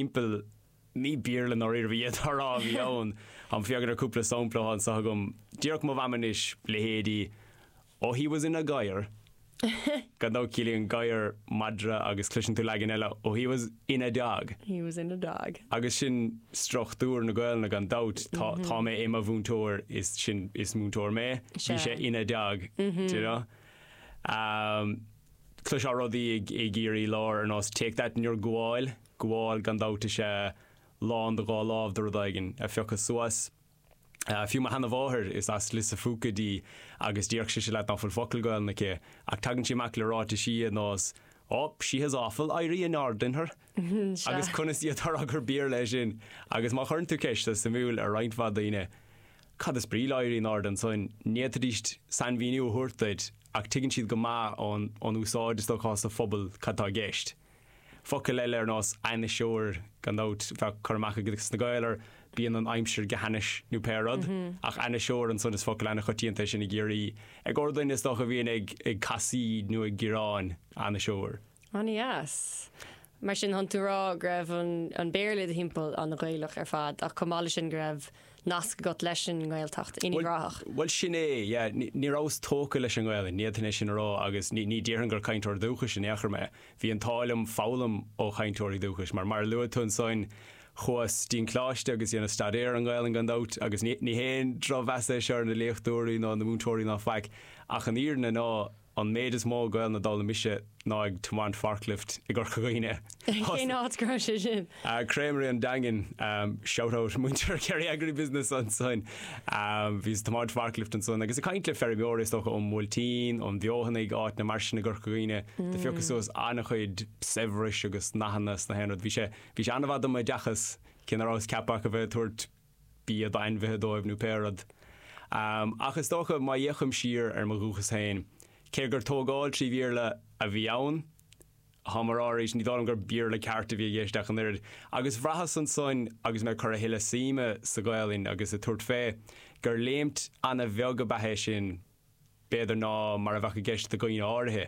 timpeall ní Béarla i ndáiríre ab ea é, tá a rá, a bhí ann. Má fhéachann tú ar cúpla sampla atá anseo agam. Déarfadh mo mham anois, leithéidí Oh he was in a gadhar. Gan dabht ciallaíonn gadhar madra agus cloiseann tú leagan eile Oh he was in a dog. He was in a dog. Agus sin struchtúr na Gaolainne gan dabht. Tá tá mé i mo mhúinteoir is sin is múinteoir mé. Bhí sé in a dog. D'you know? Cloisfeá rudaí i gCiarraí láir ar nós take that in your gabháil, gabháil gan dabht is ea lán do dhá lámh de rud éigin a phiocadh suas. Fiú mo sheanamháthair, is as Lios a' Phúca dí agus déarfadh sise leat ná fuil focal Gaolainne aici ach tagann sí amach le ráitisí ar nós oh, she has awful éirí in airde in her. Agus conas a fhéadfá a rá gur Béarla é sin? Agus má chuireann tú ceist tá sé suimiúil ar roinnt mhaith daoine, cad is brí le éirí in airde, seans n'fhéadfaidíst sainmhíniú a thabhairt duit ach tuigeann siad go maith ón ón úsáid, is dócha, sa phobal cad tá i gceist. Focail eile ar nós 'ainniseoir', gan dabht, bheadh cur amach ag na Gaeil ar 'bíonn an aimsir go hainnis' nó pé rud, ach 'ainniseoir', ansan is focal an-choitianta é sin i gCiarraí, i gcomhair duine is dócha a bhíonn ag ag casaoid nó ag gearán, 'ainniseoir'. An-deas. Mar sin, tánn tú ag rá go raibh an Béarla i do thimpeall an-Ghaelach ar fad ach chomh maith leis sin go raibh nasc agat leis an nGaeltacht, in Uíbh Ráthach. Bhuel sin é, yeah. Ní rabhas tógtha leis an nGaelainn, ní fhéadfainn é sin a rá agus ní déarfainn gur cainteoir dúchais in aon chor mé. Bhí an t-ádh liom foghlaim ó chainteoirí dúchais mar, mar a luaigh tú ansoin, chuas dtí'n coláiste agus dhéanas staidéar ar an nGaelainn gan dabht agus ní haon drochmheas é seo ar na léachtóirí ná na múinteoirí ná faic ach an fhírinne ná An méid is mó Gaelainne a d'fhoghlaim mise ná ag tiomáint forklift i gCorca Dhuibhne. Cén áit go raibh sé sin? Creamery an Daingin, shout out muintir Kerry Agribusiness ansin. Bhíos ag tiomáint forklift ansan agus ag caint le feirmeoirí is dócha ón mBuailtín, ón bhFeothanaigh, áiteanna mar sin i gCorca Dhuibhne. Do phiocas suas an-chuid saibhris agus nathanna is gach aon rud. Bhí sé, bhí sé an-mhaith dom oideachas cé ná rabhas ach ceapaithe a bheith ag tabhairt bia d'ainmhithe dóibh nó pé rud. Ach is dócha, má fhéachaim siar ar mo dhúchas féin, cé gur tógaint trí Bhéarla a bhí ann, táim á rá arís, ní dóigh liom gur Béarla ceart a bhí i gceist ach an oiread. Agus bhraitheas ansan, agus mé ag cur a thuilleadh suime sa Ghaelainn agus ag tabhairt fé, gur léimt ana-bheag ab ea é sin, b'fhéidir, ná mar a bheadh i gceist do dhaoine áirithe.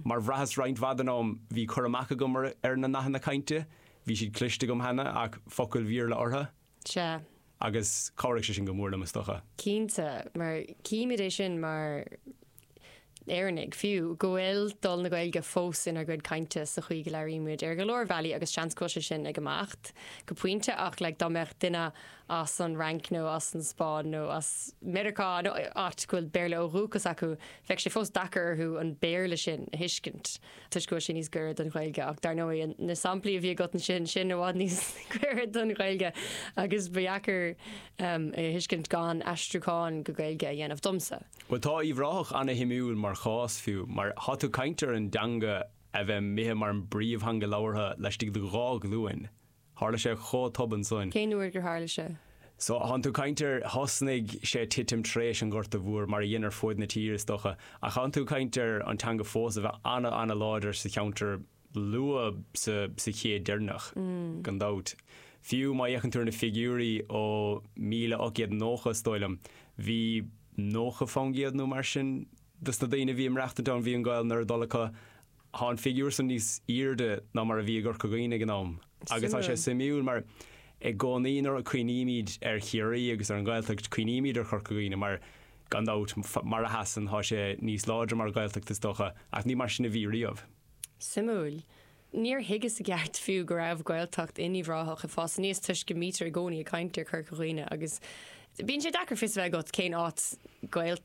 Mar bhraitheas roinnt mhaith den am, bhí cur amach agam ar na nathanna cainte, bhí siad cloiste agam cheana ach focail Bhéarla orthu. Sea. Agus chabhraigh sé sin go mór liom, is dócha. Cinnte, mar címid é sin mar Éireannaigh fiú, go bhfuil dul na Gaeilge fós inár gcuid cainte sa chaoi go labhraímid ar go leor bealaí agus seans go bhfuil sé sin ag imeacht go pointe ach like dá mbeadh duine as an Fhrainc nó as an Spáinn nó as Meiriceá nó áit go bhfuil Béarla ó dhúchas acu, bheadh sé fós deacair orthu an Béarla sin a thuiscint toisc go bhfuil sé níos gaire don Ghaeilge ach dar ndóigh na samplaí a bhí agat ansin, sin i bhfad níos gaire don Ghaeilge agus ba dheacair é a thuiscint gan aistriúchán go Gaeilge a dhéanamh domsa. Bhuel tá Uíbh Ráthach ana-shuimiúil mar chás fiú mar tá tú caint ar an dteanga a bheith imithe mar an bpríomhtheanga labhartha laistigh de dhá ghlúin Tharla sé chomh tobann soin. Cén uair gur tharla sé? So, thánn tú caint ar, thosnaigh sé titim tar éis an Ghorta Mhór, mar a dhein ar fuaid na tíre is dócha, ach thánn tú caint ar an teanga fós a bheith ana-láidir sa cheantar luath sa sa chéad deirneach, gan dabht. Fiú má fhéachann tú ar na figiúirí ó míle ocht gcéad nócha is dóigh liom, bhí nócha fán gcéad nó mar sin dos na daoine a bhí in Uíbh Ráthach an t-am bhí an Ghaelainn ar a dtoil acu Tá an figiúr san níos airde ná mar a bhí i gCorca Dhuibhne ag an am agus tá sé Suimiúil. suimiúil mar i gcónaí nuair a cuimhnímid ar Chiarraí agus ar an Ghaeltacht cuimhnímid ar Chorca Dhuibhne mar gan dabht mar a sheasann tá sé níos láidre mar Ghaeltacht is dócha ach ní mar sin a bhí riamh. Suimiúil. Níor thuigeas i gceart fiú go raibh Gaeltacht in Uíbh Ráthach ag fás aníos toisc go mbítear i gcónaí ag caint ar Chorca Dhuibhne agus Bíonn sé deacair fios a bheith agat cén áit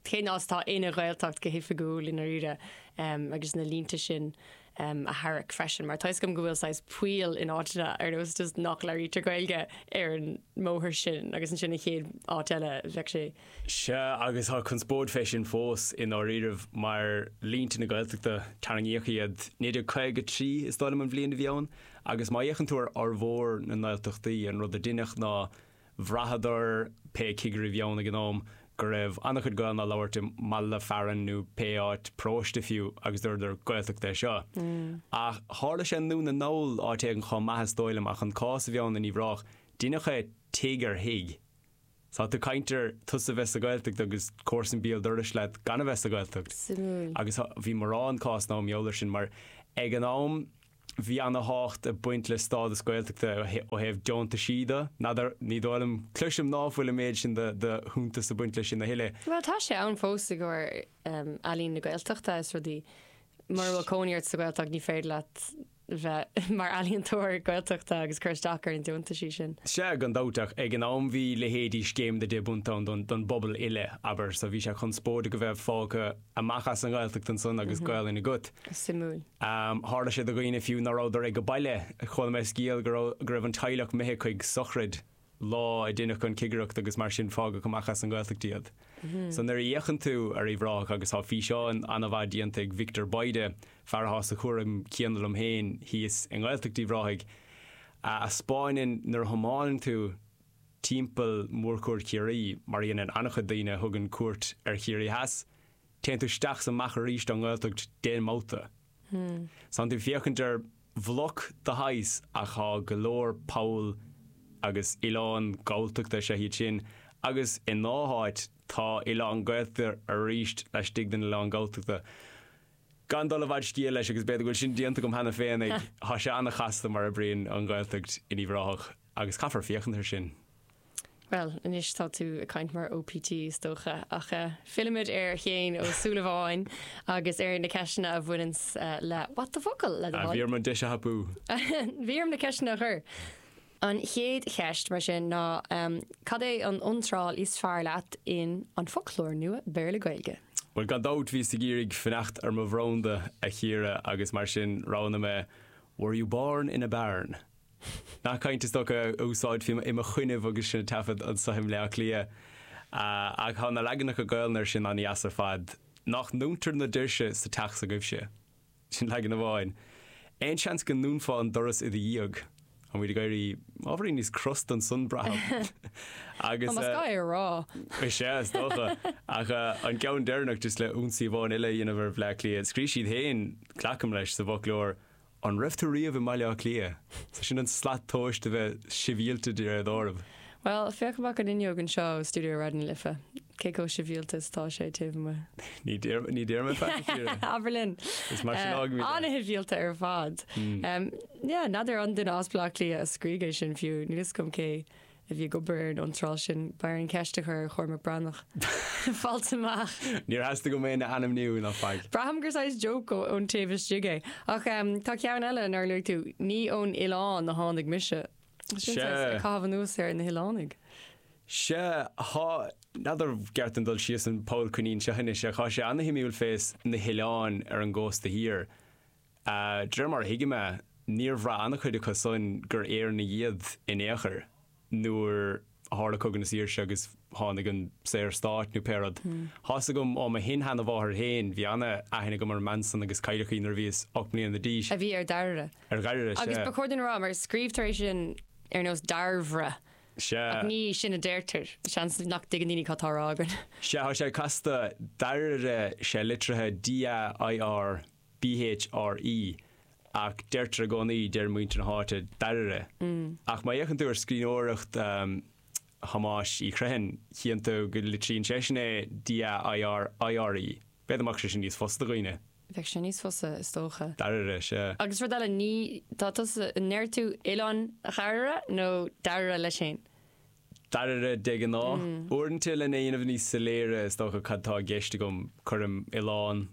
cén áit atá ina Ghaeltacht go hoifigiúil i ndáiríre agus na línte sin a tharrac freisin mar tá fhios agam go bhfuil saghas poill in áiteanna ar nós just nach labhraítear Gaeilge ar an mbóthar sin agus ansin an chéad áit eile bheadh sé Sea agus tá conspóid fé sin fós i ndáiríribh mar línte na Gaeltachta tarraingíodh iad 1953 is dóigh liom an bhliain a bhí ann agus má fhéachann tú ar fhormhór na nGaeltachtaí an rud a deineadh ná Bhraitheadar, pé cigire a bhí ann ag an am, go raibh an-chuid Gaelainn á labhairt i mbaile fearainn nó pé áit, paróiste fiú, agus dúradar, 'Gaeltacht é seo'. Ach tharla sé i nDún na nGall, áit éigin chomh maith is dóigh liom, ach an cás a bhí ann in Uíbh Ráthach, deineadh é 'tigh ar thigh'. Tá tú caint ar tusa bheith sa Ghaeltacht agus comharsan béal dorais leat gan a bheith sa Ghaeltacht. Suimiúil. Agus bhí mórán cásanna mar gheall air sin mar ag an am, Bhí ana thábhacht ag baint le stádas Gaeltachta ó thaobh deontaisí de. N'fheadar, ní dóigh liom, cloisim ná fuil an méid sin de shuntas ag baint le sin a thuilleadh. Bhuel, tá sé ann fós i gcomhair Ealaín na Gaeltachta is rudaí. Mura bhfuil cónaí ort sa Ghaeltacht ní féidir leat bheith mar ealaíontóir Gaeltachta agus cur isteach ar na deontaisí sin. Sea, gan dabht, ach ag an am bhí leithéidí Scéim na nDeich bPunt ann don bpobal uile, abair, so bhí sé conspóideach a bheith fágtha. amach as an nGaeltacht ansan agus Gaolainn agat. Suimiúil. Tharla sé do dhaoine fiú ná rabhadar ag baile. Chuala mé scéal go raibh go raibh an teaghlach imithe chuig sochraid lá a deineadh an cigireacht agus mar sin fágadh amach as an nGaeltacht iad. So nuair a fhéachann tú ar Uíbh Ráthach agus tá físeán ana-mhaith déanta ag Victor Bayda, fear atá sa chúram céanna liom féin thíos i nGaeltacht Uíbh Ráthaigh, a 'speáineann nuair a thiomáineann tú, timpeall Mhórchuaird Chiarraí, mar a dheineann an-chuid daoine a thugann cuairt ar Chiarraí Theas, téann tú isteach is amach arís ón nGaeltacht d'aon mbabhta. Is tánn tú ag féachaint ar bhloc de shaghas ach tá go leor poll agus oileán Galltachta laistigh de sin, agus i ndá háit tá oileán Gaeltachta arís laistigh den oileán Galltachta. Gan dul i bhfad scéil leis, agus b'fhéidir go bhfuil sin déanta agam cheana féin, tá sé an-chasta mar a oibríonn an Ghaeltacht in Uíbh Ráthach. Agus caithfear féachaint ar sin. Bhuel, anois tá tú ag caint mar OPT is dócha, ach fillfimid ar Shéaghan Ó Súilleabháin agus ar na ceisteanna a bhaineanns le What the focal, le do thoil. Bhí orm an deis a thapú. Bhí orm na ceisteanna a chur. An chéad cheist, mar sin, ná cad é an iontráil is fearr leat in An Foclóir Nua Béarla-Gaeilge? Bhuel, gan dabht, bhíos ag iarraidh fanacht ar mo bhranda a Chiara agus mar sin roghnaigh mé Were you born in a barn? Nath cainte is dócha a úsáidfí i mo choinnibh agus sinn ag taifead anso i mBleá Cliath. Ach thá na leaganacha Gaolainne ar sin an-dheas ar fad. Nách ndúntar na doirse sa teach s'agaibhse? Sin leagan amháin. Aon seans go ndúnfá an doras i do dhiaidh? Táimid ag éirí ábhairín níos crosta ansan, braithim. Agus. Más gá é a rá. Is ea, is dócha. Ach an ceann deireanach, just le ionsaí amháin eile a dhéanamh ar Bhleá Cliath, scríobh siad féin, glacaim leis, sa bhfoclóir, An raibh tú riamh i mBaile Átha Cliath? So sin an slat tomhais de bheith sibhialta de réir dealraimh. Bhuel, féach amach an fhuinneog anseo ó studio Raidió na Life, cé chomh sibhialta is atá sé taobh amuigh. Ní deir, ní deir mé faic a Chiara. Abair linn! Is mar sin a fhágaimid é. An-shibhialta ar fad. Yeah, n'fheadar an duine as Bleá Cliath a scrígh é sin fiú, níl 'fhios agam cé. a bhí ag obair ar an iontráil sin. B'fhearr an cheist a chur ar Chormac Breathnach. Fáilt amach. Níor theastaigh uaim é a ainmniú ná faic. Braithim gur saghas joke ón taobh istigh é. Ach tá ceann eile nár luaigh tú, Ní ón oileán a tháinig mise. Sin saghas ag caitheamh anuas ar na hoileánaigh. Sea, thá, n'fheadar an gceart dom dul síos an poll coinín seo anois, ach thá sé ana-shuimiúil fés na hoileáin ar an gcósta thiar. De réir mar a thuigim é, níor bhraith an-chuid acu san gur Éireannaigh iad in aon chor nuair a tharla Cogadh na Saoirse agus tháinig an Saorstát, nó pé rud. Tá's agam ó mo shin-sheanamháthair féin, bhí an-aithne agam ar an mbean san agus cailleadh í nuair a bhíos ocht mbliana d'aois. a bhí ar Dhairbhre. Ar Dhairbhre, sea. Agus ba chóir dúinn a rá, mar scríobhtar é sin ar nós Dairbhre. Sea. Ach ní sin a deirtear. Seans nach dtuigeann daoine cad tá á rá againn. Sea, tá sé casta. Dairire, sea, litrithe D-a-i-r-b. bh r i. Ach deirtear i gcónaí, deir muintir na háite, Dairbhre. Ach má fhéachann tú ar scríbhneoireacht Thomáis Uí Chriomhthain, chíonn tú go litríonn seisean é D A I R I R E. B'fhéidir go mbeadh sé sin níos fusa do dhaoine. Bheadh sé níos fusa is dócha. Dairbhre, sea. Agus rud eile, ní, tá tusa, an ndeir tú Oileán Dhairbhre nó Dairbhre leis féin? Dairbhre, de ghnáth. Uaireanta lena dhéanamh níos soiléire is dócha cad tá i gceist agam, cuirim oileán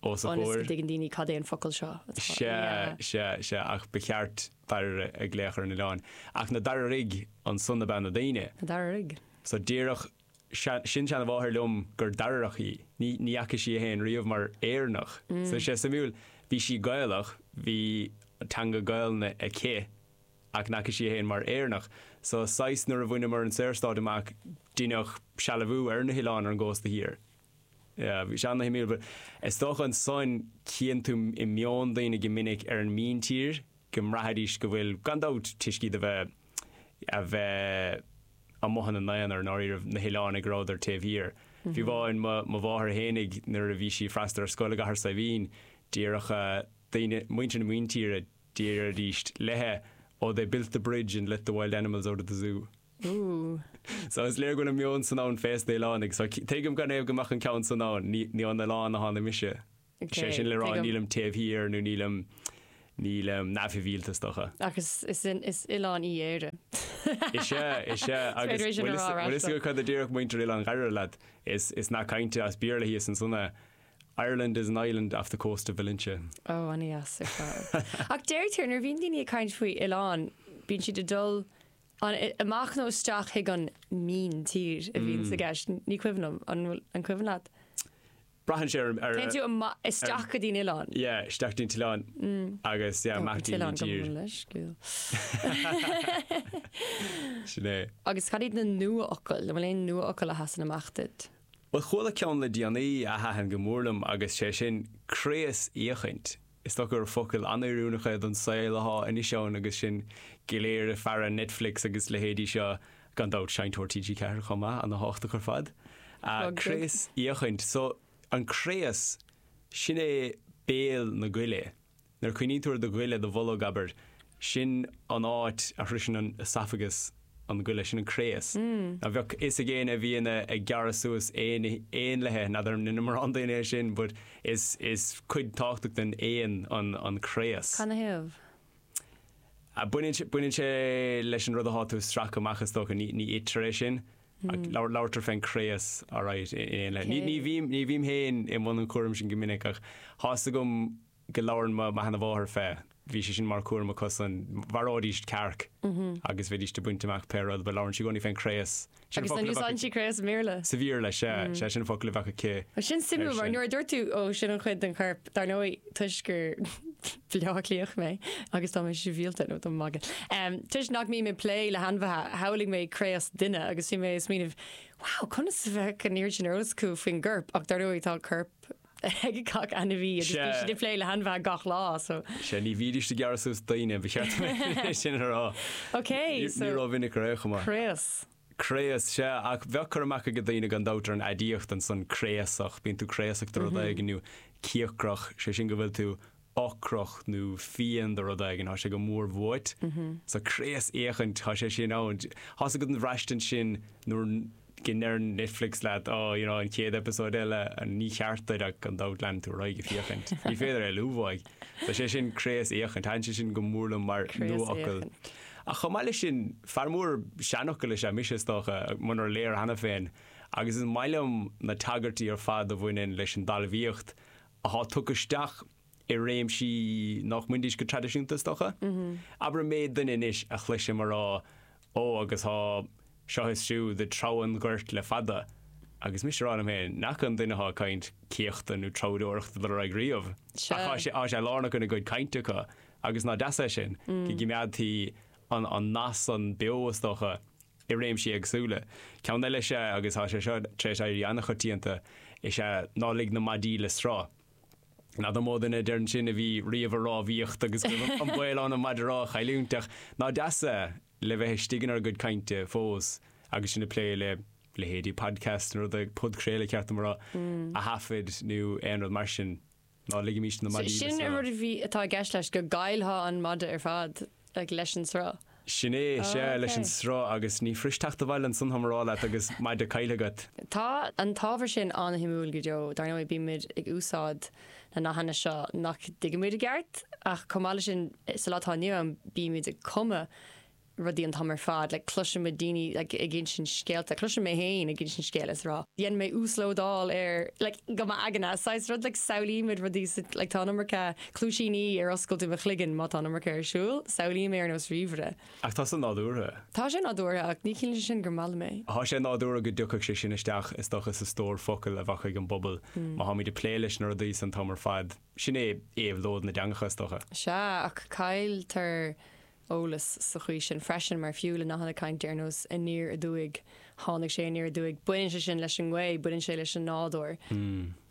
os a chomhair. Ionas go dtuigeann daoine cad é an focal seo atá Sea, yeah. sea, sea. Ach ba cheart Dairbhre a ghlaoch ar an oileán. Ach na Dairbhrigh, ansan ab ea na daoine? Na Dairbhrigh. So déarfadh mo shin-seanamháthair liom gur Dairbhreach í. Ní ní fhaca sí é féin riamh mar Éireannach. So sé suimiúil, bhí sí Gaelach, bhí teanga Gaelainne aici, Ach n'fhaca sí é féin mar Éireannach. So, saghas, nuair a bhaineamar an Saorstát amach, deineadh sealbhú ar na hoileáin ar an gcósta thiar. Yeah, bhí sé ana-shuimiúil. But is dócha ansan chíonn tú i meon daoine go minic ar an míntír go mbraithfidís go bhfuil, gan dabht, toisc iad a bheith, a bheith amuigh ina n-aonar, i ndáiríribh, na hoileánaigh go rabhadar taobh thiar. Fiú amháin mo, mo mháthair fhéinig, nuair a bhí sí ag freastal ar scoil i gCathair Saidhbhín, déarfadh daoine, muintir na míntíre, Déarfaidís léithi, Oh, they built the bridge and let the wild animals out of the zoo. Ooh. So, is léir go bhfuil an meon san ann fés na hoileánaigh. So, tuigim canathaobh go mbeadh an ceann san ann. Ní, ní ón oileán a tháinig mise. Is é sin le rá nílim taobh thiar nó nílim, nílim neamhshibhialta, is dócha. Ach is, is, is oileán í Éire. Is ea, is ea. Agus bhfuil fhios agat cad a déarfadh muintir Oileán Dhairbhre leat? Is, is nath cainte as Béarla thíos ansan é. Ireland is an island off the coast of Valentia. Ó, an-dheas ar fad. Ach deirtear nuair a bhíonn daoine ag caint faoi oileán, bíonn siad ag dul an, amach nó isteach chuig an míntír a bhíonns i gceist. Ní cuimhin liom, an bhfuil, an cuimhin leat? Braitheann sé ar, ar, Téann tú amach, isteach go dtí an oileán. yeah, isteach dtí'n t-oileán agus yeah, amach dtí'n míntír. Oileán go bhfuil leisciúil. Sin é. Agus cad iad na nuafhocail? An bhfuil aon nuafhocail a sheasann amach duit? Bhuel chuala ceann le déanaí a thaitin go mór liom agus sé sin craos-fhéachaint. Is dócha gur focal an-oiriúnach é don saol athá anois ann agus sinn go léir ag faire Netflix agus leithéidí seo, gan dabht Seinnteoir TG4 chomh maith, ana-thábhachtach ar fad. Craos-fhéachaint, so, an craos, sin é béal na goile. Nuair a chuimhníonn tú ar do ghoile, do bholg, abair, sin an áit a shroiseann an oesafagas an goile, sin an craos. Now bheadh fhios ag éinne a bhíonn ag gearradh suas éin éanlaithe, now ní dheineann mórán daoine é sin but is is cuid tábhachtach den éan an an craos. Canathaobh? Baineann sé baineann sé leis an rud atá tú a stracadh amach is dócha, ní ní itear é sin. Ach labhartar fén gcraos áirithe in aon leith. Ní bhím ní bhím féin i mbun an chúraim sin go minic ach thá's agam go labhrann mo mo sheanmháthair fé. Bhí sé sin mar cúram acusan. Mharóidís cearc agus bheidís ag baint amach pé rud but labhrann sí i gcónaí fén gcraos. Sin an focal a bheadh aici. Agus an úsáideann sí craos i mBéarla? Sa Bhéarla sea sea sin an focal a bheadh aici. Sin suimiúil mar nuair a dúirt tú ó sin an chuid den chorp dar ndóigh toisc gur Bleá Cliathach mé agus tá mé sibhialta, níl tá mé ag magadh. Toisc nach mbím ag plé le hainmhithe, shamhlaigh mé craos duine agus bhí mé ag smaoineamh, wow, conas a bheadh an oiread sin eolas acu faoin gcorp? Ach dar ndóigh, tá corp ag gach ainmhí agus bíonn siad ag plé le hainmhithe gach lá, so. Sea, ní bhídís ag gearradh suas daoine, ba cheart dom é sin a rá. Ní rómhinic a raibh, chomh maith. Craos. Craos, Sea, ach bheadh cur amach ag daoine gan dabht ar an aidiacht ansan, craosach, bíonn tú craosach do rud éigin, nó cíocrach, sé sin go bhfuil tú ocrach nó fiain do rud éigin, thá sé go mór uait. So craosfhéachaint, thá sé sin ann. Thá's agat an bhraistint sin nuair go ndeir Netflix leat, oh, you know, an chéad eipeasóid eile, ní cheart duit ach gan dabht leanann tú ar aghaidh ag féachaint. Ní féidir é a liúmhaigh. Tá sé sin craosfhéachaint, thaitin sé sin go mór liom mar nuafhocal. Craosfhéachaint. Ach chomh maith leis sin, fear mór seanfhocal is ea mise, is dócha, munar léir cheana féin, agus is maith liom na tagairtí ar fad a bhaineann leis an dtalmhaíocht atá tugtha isteach i réimsí nach mbainfidís go traidisiúnta, is dócha. Abair an méid duine anois a chloisim a rá, Ó, agus tá seo is siúd ag treabhadh an ghoirt le fada, agus mise ag rá liom féin, nach bhfaca an duine atá ag caint céachta nó treabhdóireacht ag dul ar aghaidh riamh, ach tá sé lárnach ina gcuid cainte acu. Agus ná deas é sin, go gcoimeádtaí an nasc san beo, is dócha, i réimsí éagsúla. Ceann eile is ea, agus tá sé seo tar éis éirí an-choitianta, is ea ná lig na maidí le sruth. N'fheadar mó duine a deireann sin a bhí riamh i rámhaíocht agus go raibh an baol ann an maide rámha a chailliúint ach ná deas é le bheith istigh in ár gcuid cainte fós agus sinn ag plé le leithéidí podcasts nó rud éigin, podchraoladh ba cheart dom a rá a thaifeadadh nó aon rud mar sin. Ná ligimís na maidí le Sin an rud sruth. a bhí, atá i gceist leis, go gcaillfeá an maide ar fad, like, leis an sruth? Sin é, sea, leis an Okay. sruth agus ní fuirist teacht abhaile ansan, thá mé á rá leat, agus maide caillthe agat. Tá an t-ábhar sin an-shuimiúil go deo. Dar ndóigh, bímid ag úsáid na nathanna seo nach dtuigimid i gceart, ach chomh maith leis sin, sa lá atá inniu ann, bímid ag cumadh rudaí an t-am ar fad. Like cloisimid daoine like ag insint scéalta. Cloisim mé féin ag insint scéil is ag rá dhein mé uaslódáil ar like go m'aigne. Saghas rud like samhlaímid rudaí sa like tá an iomarca cluaisíní ar oscailt i mo chloigeann má tá an iomarca ar siúl. Samhlaím é ar nós ríomhaire. Ach tá sé nádúrtha. Tá sé nádúrtha ach ní chiallaíonn sé sin gur maith liom é. Tá sé nádúrtha go dtiocfadh sé sin isteach is dócha sa stór focal a bheadh ag an bpobal má táimid ag plé leis na rudaí san t-am ar fad. Sin é éabhlóid na dteangacha is dócha. Sea ach cailltear eolas sa chaoi sin freisin mar fiú le nathanna cainte ar nós aniar aduaidh, tháinig sé aniar aduaidh, baineann sé sin leis an ngaoth, baineann sé leis an nádúr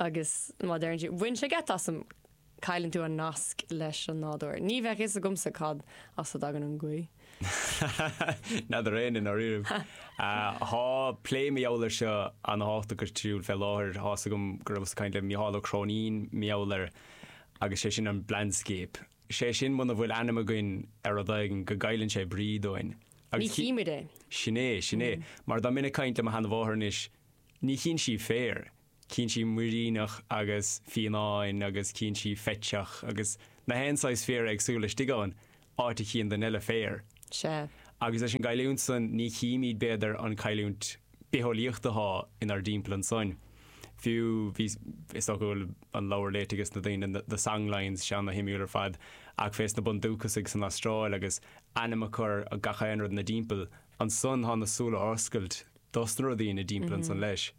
agus má deireann siad 'bhain sé geit asam', cailleann tú an nasc leis an nádúr. Ní bheadh fhios agamsa cad as a dtagann an ghaoth. N'fheadar éinne i ndáiríribh. Tá plé mar gheall air seo, ana thábhachtach ar siúl fé láthair. Tá fhios agam go rabhas ag caint le Micheál Ó Cróinín mar gheall air agus sé sin an 'blindscape'. Is é sin muna bhfuil ainm againn ar rud éigin go gcailleann sé brí dúinn. Agus ní chímid é. Sin é, sin é. Mar dá mbeinn ag caint le mo sheanmháthair anois, ní chíonn sí féar, cíonn sí muiríneach agus fionnán agus cíonn sí fiteach agus na haon saghas féara éagsúla istigh ann, áit a chíonn duine eile féar. Sea. Agus leis an gcailliúint san, ní chímid b'fhéidir an cailliúint bitheolaíocht atá inár dtimpeall ansoin. Fiú, bhí, is dócha go bhfuil an leabhar léite ages na daoine, The Songlines, sé ana shuimiúil ar fad, ach fés na bundúcasaigh san Astráil agus ainm á chur ar gach aon rud ina dtimpeall. Ansan tá na súile oscailte dos na rudaí ina dtimpeall ansan leis.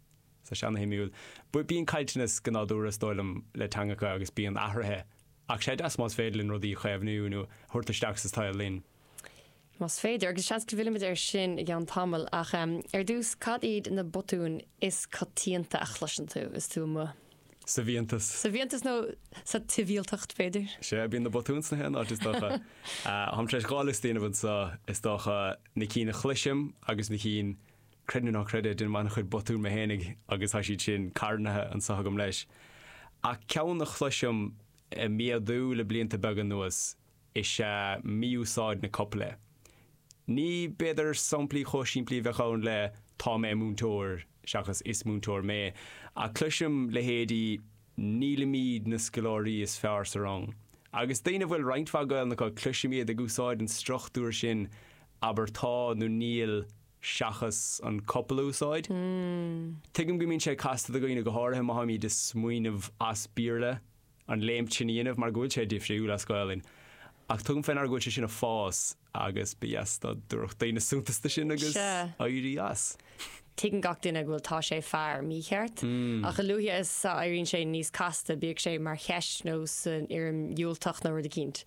So sé ana shuimiúil. But bíonn caillteanas go nádúrtha is dóigh liom le teangacha agus bíonn athruithe. Ach sé deas más féidir linn rudaí a chaomhnú nó thabhairt isteach sa tsaol linn. Más féidir, agus seans go bhfillfimid air sin i gceann tamaill, ach ar dtús, cad iad na botúin is coitianta a chloiseann tú is tú amuigh? Sa bhfiántas. Sa bhfiántas nó sa tsibhialtacht, b'fhéidir? Sea, bíonn na botúin sna haon áit, is dócha. Táim tar éis dhá liosta a dhéanamh anseo, is dócha, na cinn a chloisim agus na cinn, creid nó ná creid é, déanaim an-chuid botún mé fhéinig agus tá siad sin carnaithe anseo agam leis. Ach ceann a chloisim ag méadú le blianta beaga anuas is ea mí-úsáid na copaile. Ní, b'fhéidir, samplaí chomh simplí a bheadh ann le tá mé múinteoir seachas is múinteoir mé, ach cloisim leithéidí nílimid na scoláirí is fearr sa rang. Agus daoine a bhfuil roinnt mhaith Gaelainne acu, cloisim iad ag úsáid an struchtúir sin abair tá nó níl seachas an copail a úsáid. Tuigim go mbíonn sé casta do dhaoine, go háirithe má táimid ag smaoineamh as Béarla. an léim sin a dhéanamh mar go bhfuil sé difriúil as Gaolainn ach tugaim fé ndeara go bhfuil sé sin ag fás agus ba dheas dá dtabharfadh daoine suntas do sin agus éirí as. Tuigeann gach duine go bhfuil tá sé fear mícheart ach a luaithe is a éiríonn sé níos casta, bíodh sé mar cheist nó san fhoirm dhiúltach nó rud eicínt,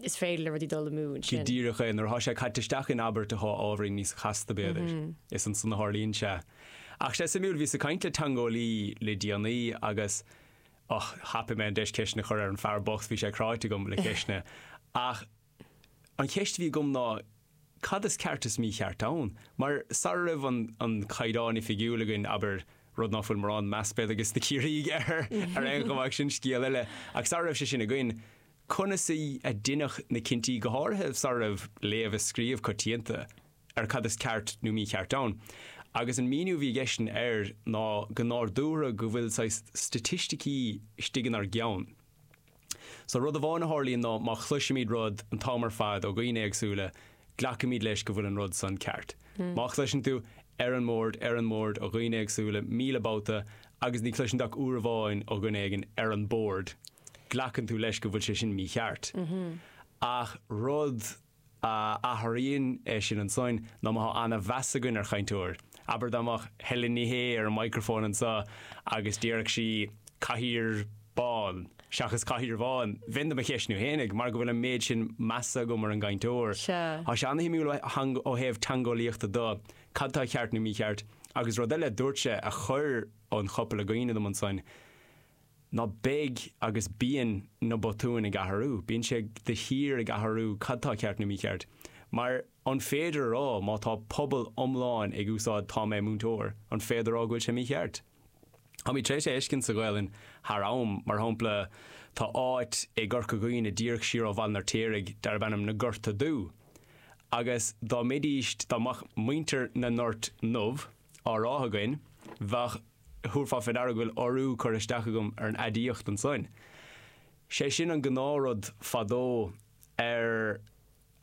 is féidir le rudaí dul amú ansin. Go díreach é, nuair atá sé caite isteach in abairt atá ábhairín níos casta b'fhéidir, is ansan a tharlaíonn sé. Ach sé suimiúil, bhíos ag caint le teangeolaí le déanaí agus Och, thapaigh mé an deis ceisteanna a chur ar an fear bocht, bhí sé cráite agam le ceisteanna. Ach an cheist a bhí agam ná cad is ceart is mícheart ann? Mar sara raibh an an Caighdeán Oifigiúil againn, abair, rud ná fuil mórán meas b'fhéidir ages na Ciarraígh air ar aon chuma ach sin scéal eile, ach sara raibh sé sin againn, conas a a deineadh na cinntí, go háirithe sara raibh léamh is scríobh coitianta? ar cad is ceart nó mícheart ann. Agus an míniú a bhí aigesean air ná go, ná ar dtúis go bhfuil saghas staitisticí istigh inár gceann. So rud amháin a tharlaíonn ná má chloisimid rud an t-am ar fad ó dhaoine éagsúla, glacaimid leis go bhfuil an rud san ceart. Má chloiseann tú, ar an mbord, ar an mbord, ó dhaoine éagsúla, míle babhta, agus ní chloiseann tú ach uair amháin ó dhuine éigin, ar an bord, glacann tú leis go bhfuil sé sin mícheart. Ach rud. a athraíonn é sin ansoin ná má thá ana-mheas againn ar chainteoir. Abair dá mbeadh Helen Ní Shé ar an microphone anso agus déarfadh sí Cathaoir bán seachas Cathaoir bhán, bheinn do mo cheistiú fhéinig mar go bhfuil an méid sin measa agam ar an gcainteoir. Sea. Thá sé ana-shuimiúil ó thaobh teangeolaíochta de, cad tá ceart nó mícheart. Agus rud eile, dúirt sé a chuir an chopail i gcuimhne dom ansoin, ná beidh agus bíonn na botúin ag athrú, bíonn sé de shíor ag athrú cad tá ceart nó mícheart. Mar an féidir a rá má tá pobal iomlán ag úsáid tá mé múinteoir, an féidir a rá go bhfuil sé mícheart? Táimid tar éis é a fheiscint sa Ghaelainn thar am. Mar shampla, tá áit i gCorca Dhuibhne díreach siar ó Bhaile an Fheirtéaraigh darb ainm Na Gorta Dubha. Agus dá mbeidís, dá mbeadh muintir na nGort nDubh, á rá againn, bheadh, thabharfá fé ndeara go bhfuil urú curtha isteach agam ar an aidiacht ansoin. Sé sin an gnáth rud fadó ar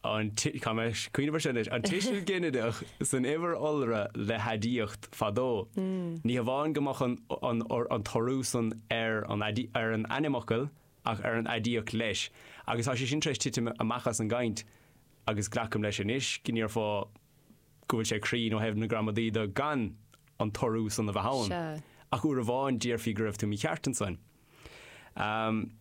an, caithfidh mé cuimhneamh ar seo anois, an tuiseal ginideach san uimhir iolra le haidiacht fadó. Ní hamháin go mbeadh an, an t-urú san ar an, ar an ainmfhocal ach ar an aidiacht leis agus tá sé sin tar éis titim amach as an gcaint agus glacam leis anois go ndéarfá, go bhfuil sé cruinn ó thaobh na gramadaí de gan an t-urú san a bheith ann. Sea. Ach uair amháin déarfaí go raibh tú mícheart ansan. Ahm,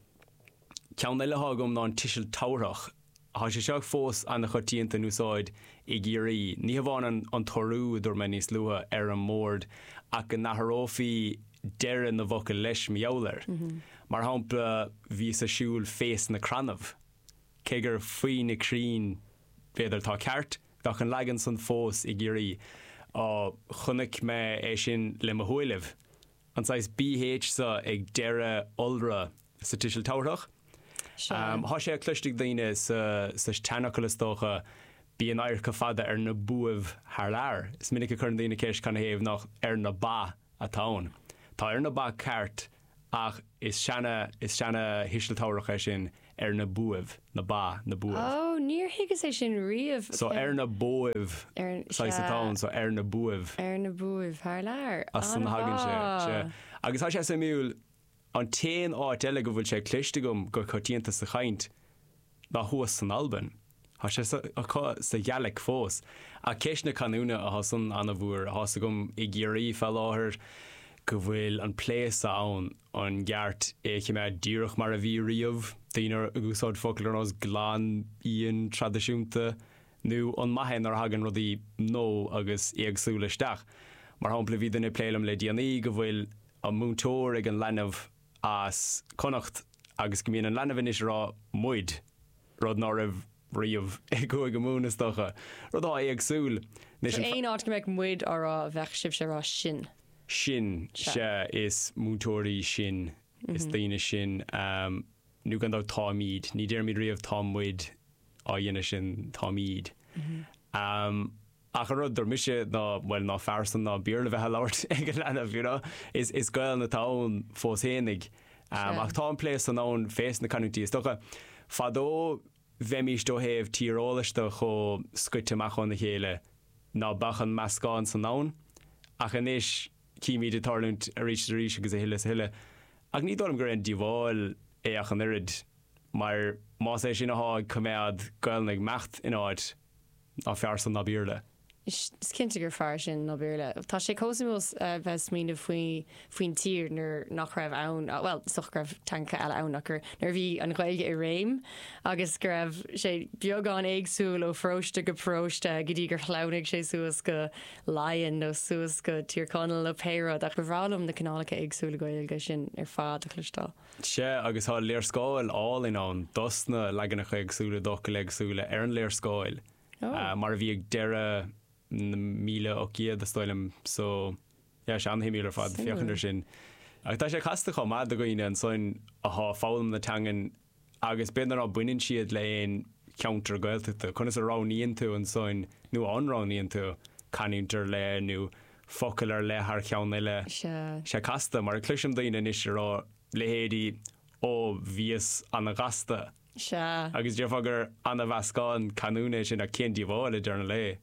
ceann eile athá agam ná an tuiseal tabharthach. Tá sé seo fós an-choitianta in úsáid i gCiarraí. Ní hamháin an an t-urú, a dúirt mé níos luaithe, ar an mbord, ach go n-athrófaí deireadh na bhfocal leis mar gheall air. Mar shampla, bhíos a' siúl fés na crannaibh. Cé gur faoi na crainn, b'fhéidir, atá ceart. Bheadh an leagan san fós i gCiarraí. Á, chonaic mé é sin le mo shúilibh. An saghas bh sa ag deireadh iolra sa tuiseal tabharthach. Sea. Thá sé cloiste ag daoine sa tseanfhocal is dócha, Bíonn adharca fada ar na buaibh thar lear. Is minic a chuireann daoine ceist canathaobh nach ar na ba atá ann. Tá ar na ba ceart Ach is seana is seana thuiseal tabharthach é sin ar na buaibh, na ba, na Ó, buaibh. níor thuigeas é sin riamh. So ar na buaibh Ar, saghas atá sea. ann, so ar na buaibh. Ar na buaibh, thar lear. As san a thagann sé, sea. An-mhaith! Agus tá sé suimiúil, an t-aon áit eile go bhfuil sé cloiste agam go coitianta sa chaint, ná thuas san Albain. Tá sé acu sa Ghàidhlig fós. Ach ceist na canúna atá san an-mhór. Tá's agam i gCiarraí fá láthair go bhfuil an plé san ann an gceart é a choimeád díreach mar a bhí riamh, daoine ag úsáid focail ar nós glan, íon, traidisiúnta, nó an maith é nuair a thagann rudaí nua agus éagsúla isteach. Mar shampla bhí duine ag plé liom le déanaí go bhfuil an múinteoir ag an leanbh, as Connacht agus go mbíonn an leanbh anois ag rá 'muid', rud ná raibh riamh i gCúige Mumhan is dócha. Rud atá éagsúil leis an. Aon áit go mbeadh 'muid' á rá bheadh sibhse a rá 'sinn'. sinn, sea, is múinteoirí sinn, is daoine sinn, nó gan dabht táimid, ní déarfaimid riamh 'tá muid' á dhéanamh sin 'táimid'. ach an rud a dúirt mise ná bhuel ná fearr san ná Béarla bheith a' labhairt ag an leanbh you know is is Gaolainn atá ann fós fhéinig Sea. ach tá an plé san ann fés na canúintí is dócha fadó bheimíst ó thaobh tíreolais do chomh scoite amach óna chéile ná beadh an meascán san ann ach anois címíd é ag tarlúint arís is arís agus a thuilleadh is a thuilleadh ach ní dóigh liom gur aon díobháil é ach an oiread mar más é sin athá ag coimeád Gaolainn ag imeacht in áit Ná fearr san ná Béarla? Is cinnte gur fearr sin ná Béarla. Tá sé chomh suimiúil bheith ag smaoineamh faoin tír nuair nach raibh ann, bhuel, is dócha go raibh teangacha eile ann ach nuair a bhí an Ghaeilge i réim agus go raibh sé beagán éagsúil ó pharóiste go paróiste go dtí gur shleamhnaigh sé suas go Laighin nó suas go Tír Chonaill nó pé rud ach ba bhreá liom na cineálacha éagsúla Gaeilge sin ar fad a chloisteáil. Sea, agus tá léarscáil álainn ann dos na leaganacha éagsúla d'fhocail éagsúla ar an léarscáil, mar a bhí ag deireadh na míle ocht gcéad, is dóigh liom. So, yeah, is an-suimiúil ar fad féachaint ar sin. Ach tá sé casta chomh maith do dhaoine ansan athá ag foghlaim na teangan agus b'fhéidir ná baineann siad le aon cheantar Gaeltachta, conas a roghnaíonn tú ansan, nó an roghnaíonn tú, canúint ar leith nó focal ar leith thar cheann eile. Sé casta, mar a chloisim daoine anois a rá, leithéidí Ó, bhíos an-ghasta. Agus déarfá gur an-mheascán canúna é sin ach cén díobháil, ag deireadh an lae?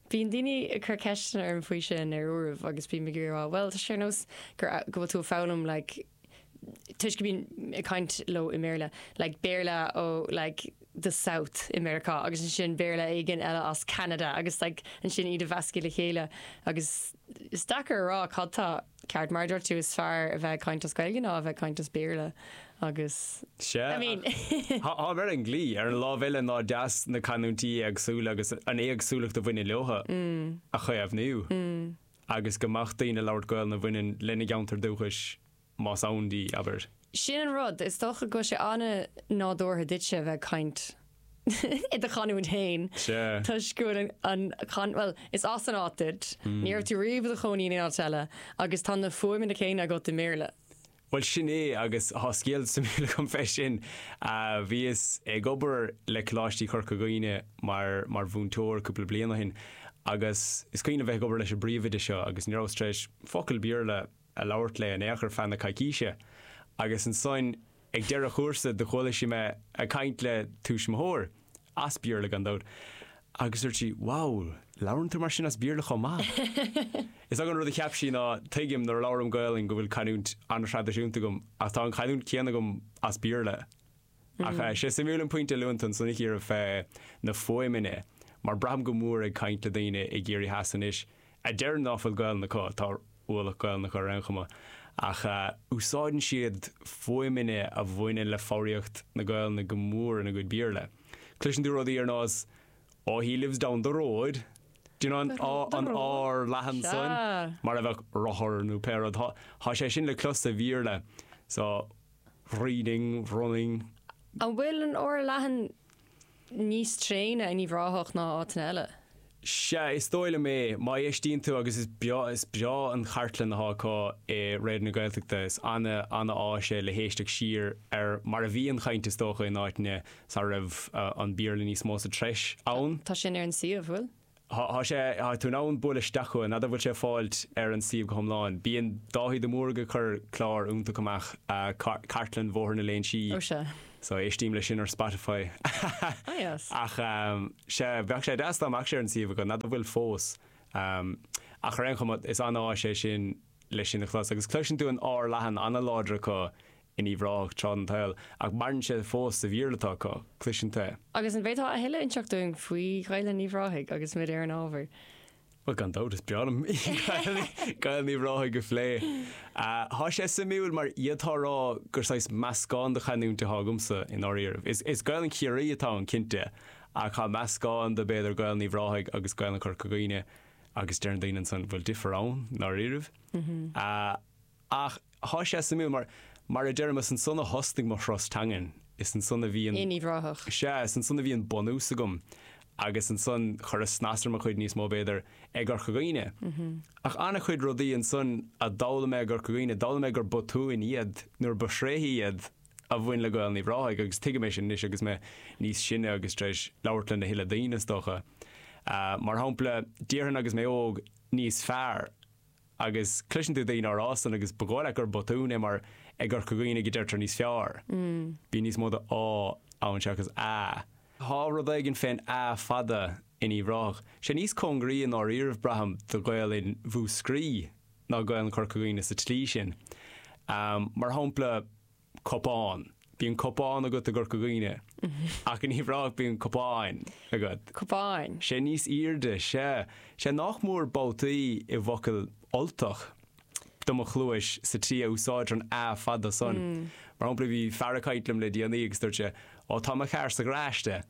Bíonn daoine ag cur ceisteanna orm faoi sin ar uairibh agus bím ag iarraidh a rá, bhuel, tá sé ar nós gur go bhfuil tú ag foghlaim like, toisc go mbíonn ag caint leo i mBéarla, like Béarla ó like the South i Meiriceá agus ansin Béarla éigin eile as Ceanada agus like ansin iad a mheascadh le chéile agus is deacair a rá cad tá ceart. Mar a dúirt tú, is fearr a bheith ag caint as Gaeilge ná a bheith ag caint as Béarla agus I mean táim ar an gclaí ar an lámh eile nach deas na canúintí éagsúla agus an éagsúlacht a bhaineann leotha a chaomhnú. agus go mbeadh daoine ag labhairt Gaolainn a bhaineann lena gceantar dúchais, más ann di, abair. Sin an rud, is dócha go bhfuil sé an-nádúrtha duitse a bheith ag caint i do chanúint fhéin toisc go bhfuil an, bhuel, is as an áit duit, ní raibh tú riamh i do chónaí in aon áit eile agus tá na fuaimeanna céanna agat i mBéarla. Bhuel sin é agus tá scéal suimiúil agam fé sin. Bhíos ag obair le Coláistí Chorca Dhuibhne mar mar mhúinteoir cúpla bliain ó shin agus is cuimhin liom bheith ag obair leis an bpríomhoide seo agus ní rabhas tar éis focal Béarla a labhairt léi in aon chor feadh na coicíse agus ansoin ag deireadh an chúrsa do chuala sí mé ag caint le tuismitheoir as Béarla gan dabht. Agus dúirt sí, Wow, labhrann tú mar sin as Béarla chomh maith? Is dócha an rud a cheap sí ná, tuigim nuair a labhraím Gaolainn go bhfuil canúint an-thraidisiúnta agam ach tá an chanúint céanna agam as Béarla. Ach eh, sé suimiúil an pointe a luann tú ansan a Chiara fé na fuaimeanna mar braithim go mór ag caint le daoine i gCiarraí Theas anois a deir ná fuil Gaelainn acu, tá ualach Gaelainne acu ar aon chuma, ach úsáideann siad fuaimeanna a bhaineann le foghraíocht na Gaelainne go mór ina gcuid Béarla. Cloiseann tú rudaí ar nós Oh he lives down the road, do you know an oh an R leathan san, mar a bheadh rothar nó pé rud, tá sé sin le clos sa Bhéarla, so reading, running. An bhfuil an R leathan níos tréine in Uíbh Ráthach ná áiteanna eile? Sea, is dóigh liom é. Má éistíonn tú, agus is breá, is breá an chartlann atá acu i Raidió na Gaeltachta. Is ana, ana áis é le héisteacht siar ar mar a bhí an chaint is dócha in áiteanna sara raibh an Béarla níos mó sa treis ann. Tá sin ar an suíomh, bhfuil? Tá sé, tá tú in ann bualadh isteach chucu, n'fheadar an bhfuil sé fáilt ar an suíomh go hiomlán. Bíonn Dáithí de Mórdha ag cur clár iontach amach, Cartlann Bhóthar na Léinsí, so éistím leis sin ar Spotify. Ach sea, bheadh sé deas dá mbeadh sé ar an suíomh acu, n'fheadar an bhfuil fós. Ach ar aon chuma, is an-áis é sin leis sin a chlos. Agus cloiseann tú an R leathan, an-láidir acu in Uíbh Ráthach tráth den tsaol, ach maireann sé fós sa Bhéarla atá acu, cloiseann tú é. Agus an bhféadfá a thuilleadh inseacht dúinn faoi Ghaelainn Uíbh Ráthaigh agus muid ar an ábhar? Bhuel, gan dabht, is breá liom Gaelainn Uíbh Ráthaigh a phlé. Tá sé suimiúil mar d'fhéadfá a rá gur saghas meascán de chanúint atá agamsa i ndáiríribh. Is Gaelainn Chiarraí atá ann, cinnte, ach tá meascán de, b'fhéidir, Gaelainn Uíbh Ráthaigh agus Gaelainn Chorca Dhuibhne agus deireann daoine ansan, bhfuil difear ann i ndáiríribh? Ach tá sé suimiúil mar, mar a deirim, is ansan a thosnaigh mo thuras teangan. Is ansan a bhí an, In Uíbh Ráthach. sea, is ansan a bhí an bunús agam agus ansan chuireas snas ar mo chuid níos mó, b'fhéidir, i gCorca Dhuibhne. Ach an-chuid rudaí ansan a d'fhoghlaim mé i gCorca Dhuibhne, d'fhoghlaim mé gur botúin iad nuair ba thréithe iad a bhain le Gaelainn Uíbh Ráthaigh agus tuigim é sin anois agus mé níos sine agus tar éis labhairt lena thuilleadh daoine, is dócha. Mar shampla, déarfainn agus mé óg, níos fearr. Agus cloiseann tú daoine á rá san agus ba dhóigh leat gur botún é mar i gCorca Dhuibhne go deirtear níos fearr. Bíonn níos mó de á ann seachas a. Tá rud éigin fén a fada in Uíbh Ráthach. Sé níos cóngaraí i ndáiríribh, braithim, do Ghaelainn Mhúscraí ná Gaelainn Chorca Dhuibhne sa tslí sin. Mar shampla. cupán. Bíonn cupán agat i gCorca Dhuibhne ach in Uíbh Ráthach bíonn cupán agat. cupán. sé níos airde sea. sé nach mór babhtaí i bhfocail Ultach do mo chluais sa tslí a úsáidtear an a fada san. Mar shampla bhí fear ag caint liom le déanaí agus dúirt sé, Ó tá mo charr sa gharáiste.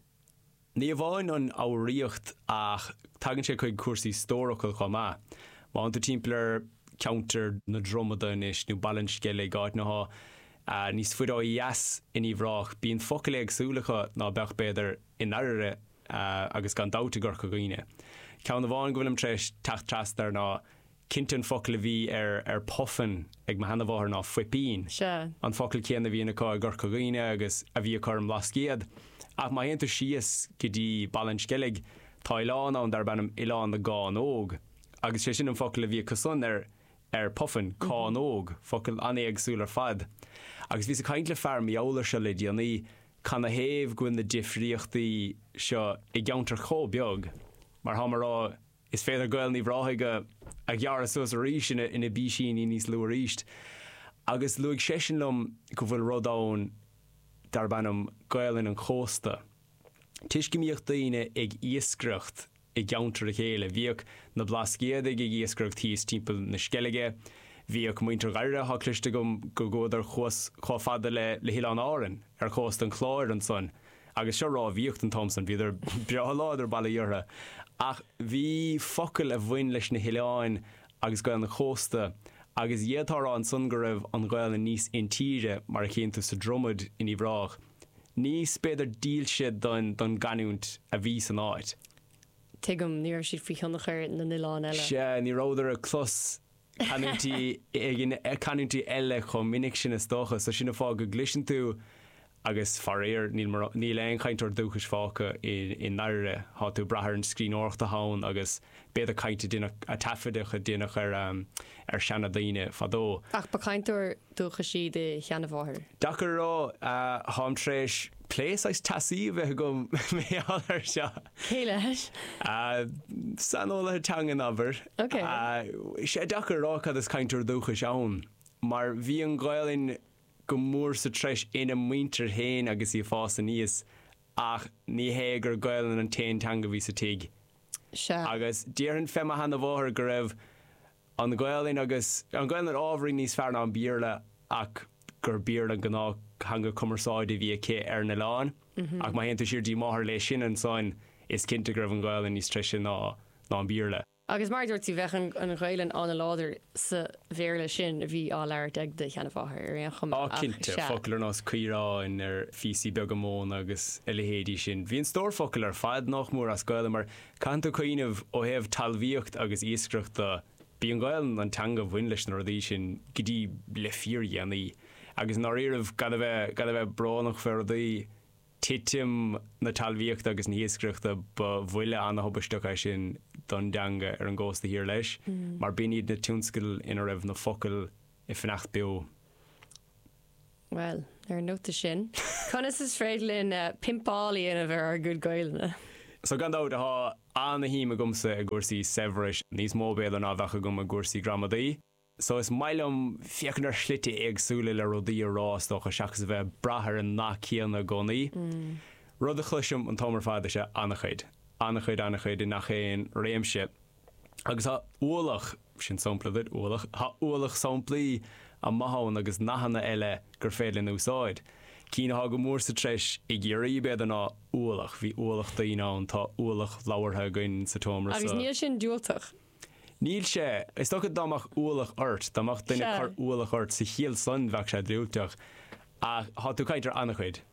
Ní amháin an fhoghraíocht ach tagann sé chuig cúrsaí stórfhocail chomh maith. Má thánn tú timpeall ar cheantar na Dromada anois nó Baile an Sceilg, áiteanna atá níos faide ó dheas in Uíbh Ráthach, bíonn focail éagsúla acu ná beadh, b'fhéidir, i nDairbhre agus gan dabht i gCorca Dhuibhne. Ceann amháin go bhfuilim tar éis teacht trasna air ná Cinnte an focal a bhí ar ar puffin ag mo sheanamháthair ná fuipín. Sea. An focal céanna a bhíonn acu i gCorca Dhuibhne agus a bhí acu ar an mBlascaod. Ach má théann tú síos go dtí Baile an Sceilg tá oileán ann darb ainm Oileán na gCánóg agus sé sin an focal a bhí acusan ar ar puffin, cánóg, focal an-éagsúil ar fad. Agus bhíos ag caint le fear, Mícheál Ó Sé, le déanaí cad ina thaobh go bhfuil na difríochtaí seo i gceantar chomh beag mar atáim á rá Is féidir Gaelainn Uíbh Ráthaigh a a ghearradh suas arís ina ina bpísíní níos lú arís. Agus luaigh seisean liom go bhfuil rud ann darb ainm Gaelainn an Chósta. Toisc go mbíodh daoine ag iascaireacht i gceantar a chéile, bhíodh na Blascaodaigh ag iascaireacht thíos timpeall na Sceilge, bhíodh muintir Dhairbhre, tá cloiste agam go gcuadar thuas chomh fada le le hOileáin Árann, ar chósta an Chláir ansan. agus seo rámhaíocht an t-am san, bhíodar breá láidir, bail ó Dhia orthu, ach bhí focail a bhain leis na hoileáin agus Gaelainn an chósta agus d'fhéadfá a rá ansan go raibh an Ghaelainn níos intíre, mar a chíonn tú sa Dromaid in Uíbh Ráthach, níos, b'fhéidir, dílse don gcanúint a bhí san áit. Tuigim, ní raibh siad faoi thionchar na n-oileán eile. Sea, ní rabhadar ag clos canúintí éigin, canúintí eile chomh minic sin is dócha, so sin an fáth go gcliseann tú agus faraor níl morán, níl aon chainteoir dúchais fágtha i i nDairbhre, tá tú ag brath ar an scríbhneoireacht atá ann agus b'fhéidir caint a deineadh, a taifeadadh a deineadh ar ar seana daoine fadó. Ach ba chainteoir dúchais í do sheana mháthair? Deacair a rá, táim tar éis plé saghas teasaí a bheith agam mar gheall ar seo. Cé leis? Saineolaithe teanga abair. Is deacair a rá cad is cainteoir dúchais ann mar bhí an Ghaelainn go mór sa treis ina muintir féin agus í ag fás aníos ach ní hé gur Gaelainn an t-aon teanga a bhí sa tigh agus déarfainn fém sheana mháthair go raibh An Ghaelainn agus an Ghaelainn ábhairín níos fearr ná an Béarla ach gur Béarla an gnáth theanga cumarsáide a bhí aici ar an oileán. Ach má théann tú siar dtí máthair léi sin ansan is cinnte go raibh an Ghaelainn níos treise ná ná an Béarla. Agus mar a dúirt tú, bheadh an Ghaelainn an-láidir sa Bhéarla sin a bhí á labhairt ag do sheanamháthair ar aon chuma, Á ach cinnte, sea. focail ar nós caoráin, ar phíosaí beaga móna agus a leithéidí sin. Bhí an stór focal ar fad nách mór as Gaelainn mar Caitheann tú cuimhneamh ó thaobh talmhaíocht agus iascaireacht de. B'í an Ghaelainn an teanga a bhain leis na rudaí sin go dtí le fíordhéanaí. Agus i ndáiríribh, gan a bheith, gan a bheith brónach fé rudaí, titim na talmhaíochta agus na hiascaireachta ba bhuille ana-thubaisteach é sin don dteanga ar an gcósta thiar leis, mar b'in iad na tionscadail ina raibh na focail ag fanacht beo. Bhuel, ar an nóta sin, conas is féidir linn pimpeáil a dhéanamh ar ár gcuid Gaelainne? So, gan dabht, tá ana-shuim agamsa i gcúrsaí saibhris, níos mó b'fhéidir ná a bheadh agam i gcúrsaí gramadaí. So, is maith liom féachaint ar shlite éagsúla le rudaí a rá, is dócha, seachas a bheith ag brath ar an nath céanna i gcónaí. Rud a chloisim an t-am ar fad is ea ana-chuid, ana-chuid, ana-chuid, i ngach aon réimse. agus tá ualach, sin sampla duit, ualach, tá ualach samplaí maithe ann agus nathanna eile gur féidir linn a úsáid. Cinn atá go mór sa treis i gCiarraí, b'fhéidir, ná 'ualach', 'bhí ualach daoine ann', 'tá ualach leabhartha againn sa tseomra seo'. Agus níl sin diúltach. Níl sé. Is dócha dá mbeadh ualach ort, dá mbeadh duine ag cur ualach ort sa chiall san, bheadh sé diúltach. Ach tá tú ag caint ar an-chuid.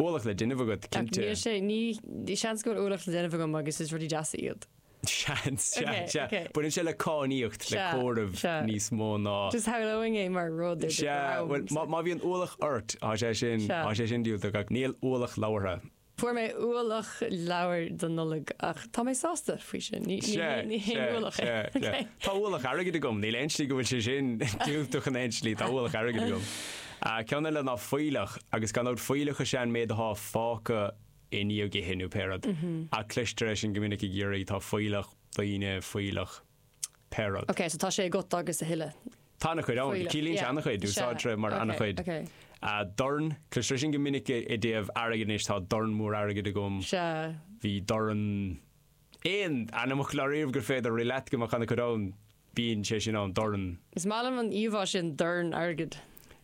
Ualach le déanamh agat, cinnte. Níl sé, ní, seans go bhfuil ualach le déanamh agam agus is rudaí deasa iad. Seans, sea, Ok, sea. ok. Baineann sé le cainníocht, le Sea, comhaireamh sea. níos mó ná. Just samhlaím é mar rud ar bith Sea, go raibh, bhuel, má, so. má bhíonn ualach ort, tá sé sin, Sea. tá sé sin diúltach ach níl ualach leabhartha. Fuair mé ualach leabhair don Nollaig ach tá mé sásta faoi sin, ní, ní Sea, haon, ní haon sea, ualach é. sea, sea. Ok. Tá ualach airgid agam, níl aon slí go bhfuil sé sin diúltach in aon slí, tá ualach airgid agam. An ceann eile ná fuílleach, agus gan dabht fuílleach is ea an méid atá fágtha i ndiaidh ithe nó pé rud, ach cloistear é sin go minic i gCiarraí, tá fuílleach daoine, fuílleach pé rud. Ok, so tá sé agat agus a thuilleadh. Tá an-chuid ann, fuílleach, ciallaíonn sé yeah, an-chuid, is ea, úsáidtear é mar ok, an-chuid. ok. Ah, dorn, cloistear é sin go minic i dtaobh airgid anois, tá dorn mór airgid agam, Is ea. bhí dorn. Aon ainmfhocal i ndáiríribh gur féidir rith leat go mbeadh an-chuid ann. Bíonn sé sin ann, dorn. Is maith liom an íomhá sin, dorn airgid.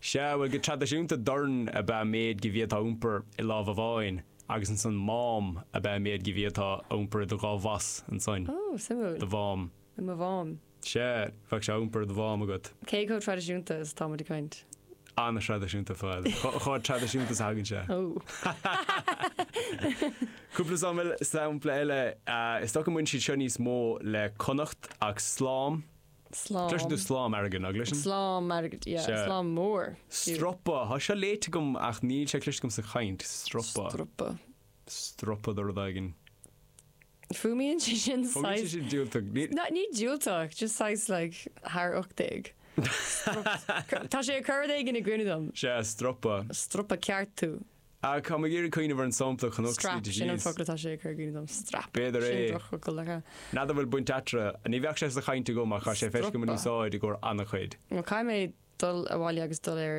Sea, bhuel, go traidisiúnta dorn ab ea an méid go bhféadfá a iompar i lámh amháin agus ansan mám ab ea an méid go bhféadfá a iompar i do dhá bhos ansan. Ó, suimiúil. Do mhám. I mo mhám. Sea, bheadh sé á iompar i do mhám agat. Cé chomh traidisiúnta is atá muid ag caint? an-thraidisiúnta atá ann. Chomh traidisiúnta is a thagann sé. Cúpla sampla eile, is dócha go mbaineann siad seo níos mó le Connacht ach slám, cloiseann tú slám airgid, nach gcloiseann? Slám airgid, yeah, slám mór. Stropa, tá seo léite agam ach níl sé cloiste agam sa chaint, stropa. Stropa. Stropa de rud éigin. Fuaimíonn sé sin Fuaimíonn sé saghas. sin diúltach. Ní. Ní, ní diúltach, just saghas like thar ocht déag. Stropa. Tá sé ag cur rud éigin i gcuimhne dom. Sea, stropa. Stropa ceart tú. Ach tá mé ag iarraidh cuimhneamh ar an sampla a chonac scríte Strap, sin an síos. focal atá sé ag cur i gcuimhne dom. Strap. B'fhéidir é. Sin drochfhocal, ar feadh. N'fheadar an bhfuil baint eatarthu. Ní bheadh sé sa chaint agam ach tá sé feicthe agam in Stropa. úsáid i gcomhair an-chuid. Bhuel, caithfidh mé dul abhaile agus dul ar.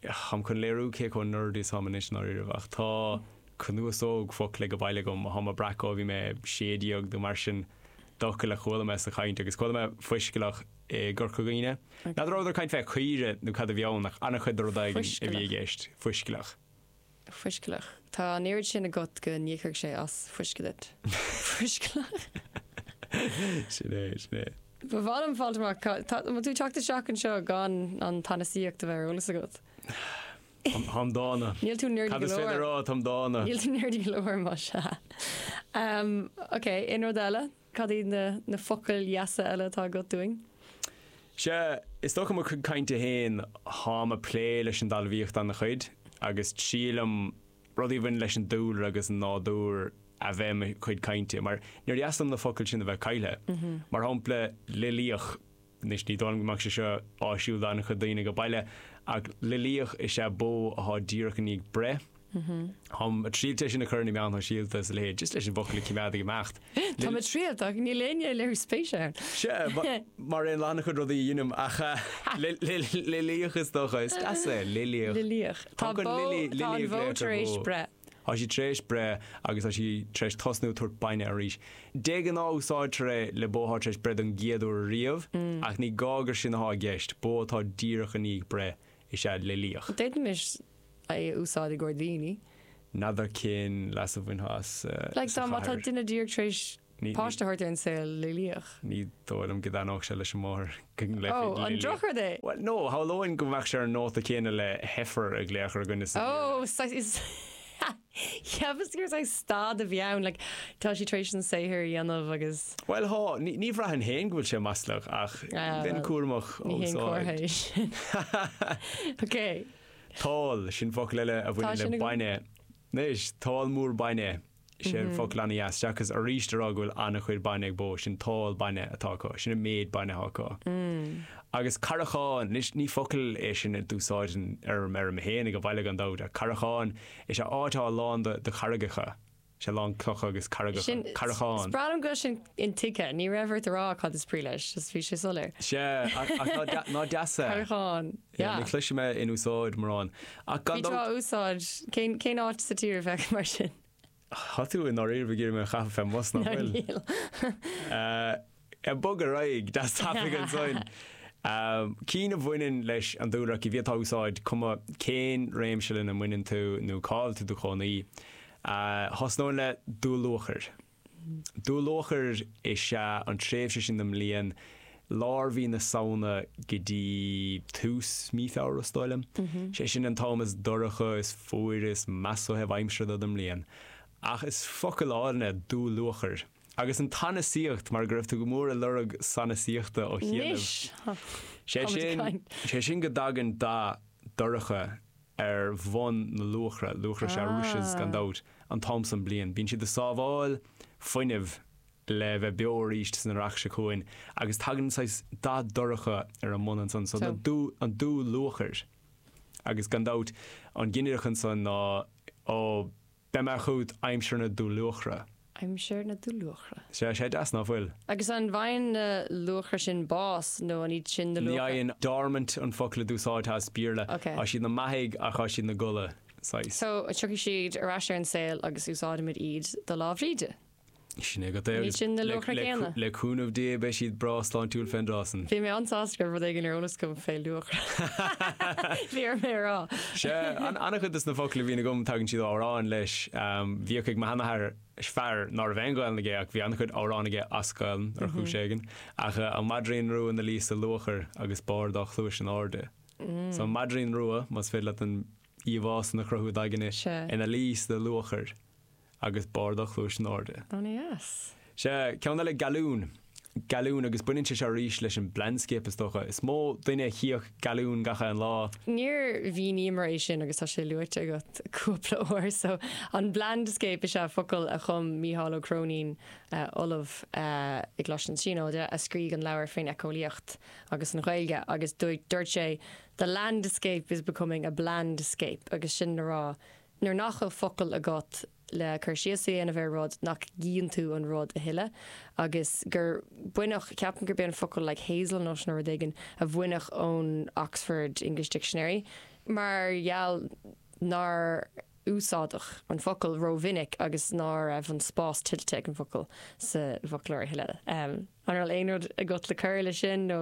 táim chun léiriú cé chomh nerdy is táim anois i ndáiríribh ach tá cnuasóg focal age baile agam ó tháim a' breacadh ó bhí mé sé déag nó mar sin d'fhocail a chuala mé sa chaint agus chuala mé fuiscealach i gCorca Dhuibhne. N'fheadar an rabhadar ag caint fé chaoire nó cad a bhí ann ach ana-chuid de rud éigin a bhí i gceist, fuiscealach. fuiscealach. Tá an oiread sin agat go n-íocfadh sé as fuisce duit. Fuiscealach. Sin é, sin é. Ba mhaith liom fáilt amach cad tá, an bhfuil tú ag teacht isteach anseo gan an tsanasaíocht a bheith ar eolas agat? Táim dána. Níl tú nerdy Cad go is féidir leor. a rá, táim dána. Níl tú nerdy go leor más ea. Em, okay, aon rud eile? Cad iad na na focail dheasa eile atá agat dúinn? Sea, is dócha mo chuid cainte féin, táim ag plé leis an dtalmhaíocht ana-chuid agus is aoibhinn liom rudaí a bhaineann leis an dúlra agus an nádúr a bheith i mo chuid cainte mar níor dheas liom na focail sin a bheith caillthe. Mar shampla, loilíoch. Anois ní dóigh liom go mbeadh sé seo áisiúil do an-chuid daoine age baile ach loilíoch is ea bó athá díreach i ndiaidh breith. Táim a' triailt é sin a chur in na meáin shóisialta is a leithéid, just leis an bhfocal a chimeád ag imeacht. Táim a' triailt ach níl éinne a' léiriú spéise ann. Sea, mar aon le han-chuid rudaí a dheinim ach loilíoch is dócha, is deas é, loilíoch. Loilíoch. Tá bó, tá an bhó tar éis breith. Tá sí tar éis breith agus tá sí tar éis tosnú tabhairt bainne aríst. De ghnáth úsáidtear é le bó atá tar éis breith don gcéad uair ariamh ach ní gá gur sin atá i gceist, bó atá díreach i ndiaidh breith is ea loilíoch. D'fhéadfaimis é a úsáid i gcomhair daoine. N'fheadar cén leas a bhainfeá as sa chathair. Like dá mba duine díreach tar éis Páiste a thabhairt ar an saol, loilíoch. Ní dóigh liom go dtaitneodh sé leis an máthair go nglaofaí loilíoch. Ó, an drochrud é? Bhuel, no, shamhlóinn go mbeadh sé ar an nóta céanna le heifer a ghlaoch ar dhuine sa Bhéarla. Ó, saghas, cheapas gur saghas stádas a bhí ann, like, tá sí tar éis an saothar a dhéanamh agus. Bhuel, há, ní bhraithfinn féin go bhfuil sé maslach ach bheinn cúramach á úsáid. Ní haon compliment é sin. Okay. Tál, sin focal eile a bhaineann le bainne. Anois, tál mór bainne. Is é an focal an-deas chun aríst a rá go bhfuil an-chuid bainne ag bó, sin tál bainne atá acu, sin an méid bainne atá acu. Agus carraigeán, anois ní focal é sin a d'úsáidinn ar an fheirm féin ag baile gan dabht ach carraigeán, is ea áit atá lán de charraigeacha, is ea lán clocha agus carraigeacha, carrachán. Sin, is breá liom go bhfuil sin intuigthe, ní raibh ort a rá cad is brí leis, just bhí sé soiléir. Is ea, ach ná deas é? Carraigeán. Yeah, ní chloisim é in úsáid mórán. Ach gan dabht. Bhí tú á úsáid. Cén, cén áit sa tír a bheadh mar sin? Tá tú i ndáiríre ag iarraidh mé a chaitheamh fé mbus nach bhfuil? Níl. Ag bogadh ar aghaidh, deas tapaidh ansan. Cinn a bhaineann leis an dúlra, gur féidir leat a úsáid, cuma cén réimse lena mbaineann tú nó cá bhfuil tú i do chónaí. Thosnóinn le dúluachair. Dúluachair is ea an tréimhse sin den mbliain, lár mhí na Samhna go dtí tús mí Feabhra, is dóigh liom. Sé sin an t-am is dorcha, is fuaire, is measa ó thaobh aimsire den mbliain. Ach is focal álainn é dúluachair. Agus an tsanasaíocht, mar go raibh tú go mór ag lorg sanasaíochta ó chianaibh. Anois! Sé sin go dtagann dath dorcha ar bhonn na luachra. Luachra is ea rushes gan dabht an t-am san bliain. Bíonn siad ag sábháil fuinnimh le bheith beo aríst san earrach seo chugainn agus tagann saghas dath dorcha ar a mbun ansan so an dúluachair. Agus gan dabht an ginideach ansan ná ó. Beidh mé chugat aimsir na dúluachra. aimsir na dúluachra. Sea, sé deas, ná fuil? Agus an bhfaigheann na luachra sin bás nó an iad sin na luachra? Ní fhaigheann. Dormant an focal a d'úsáidfeá as Béarla. Ok. Tá siad ina mbeathaidh ach tá siad ina gcodladh, saghas. So, tiocfaidh siad ar ais ar an saol agus úsáidimid iad do Lá Bhríde? Sin é agat. Níl sin na luacha céanna. Le cúnamh Dé beidh siad breá sláintiúil fén dtráth san. Bhí mé an-sásta go raibh rud éigin ar eolas agam fé luachra. Bhí orm é a rá. Sea, an-chuid de na focla a bhíonn agam tagann siad ó amhráin leis. Bhíodh ag mo sheanathair, fear ná raibh aon Ghaelainn aige ach bhí an-chuid amhrán aige as Gaelainn ar chúis éigin, ach An Maidrín Rua ina luí sa luachair agus barr a dhá chluais in airde. So an maidrín rua, más féidir leat an íomhá san a chruthú i d'aigne, ina luí sa luachair. agus barr a dhá chluais in airde. Ana dheas. Sea, ceann eile gealún. Gealún, agus baineann sé seo arís leis an mblandscape is dócha. Is mó duine a chífeadh gealún gach aon lá. Níor mhíníomar é sin agus tá sé luaite agat cúpla uair. So, an blandscape is ea focal a chum Mícheál Ó Cróinín, ollamh i gColáiste na Tríonóide, a scrígh an leabhar faoin eiceolaíocht agus an Ghaeilge agus dúirt sé the landscape is becoming a blandscape agus sin le rá Nuair nach bhfuil focail agat le cur síos a dhéanamh ar rud, nach gcíonn tú an rud a thuilleadh? Agus gur baineadh, ceapaim gurb é an focal like hazel nut nó rud éigin a baineadh ón Oxford English Dictionary mar gheall nár úsáideadh an focal rómhinic agus ná raibh an spás tuillte ag an bhfocal sa bhfoclóir a thuilleadh. An raibh aon rud agat le cur leis sin nó?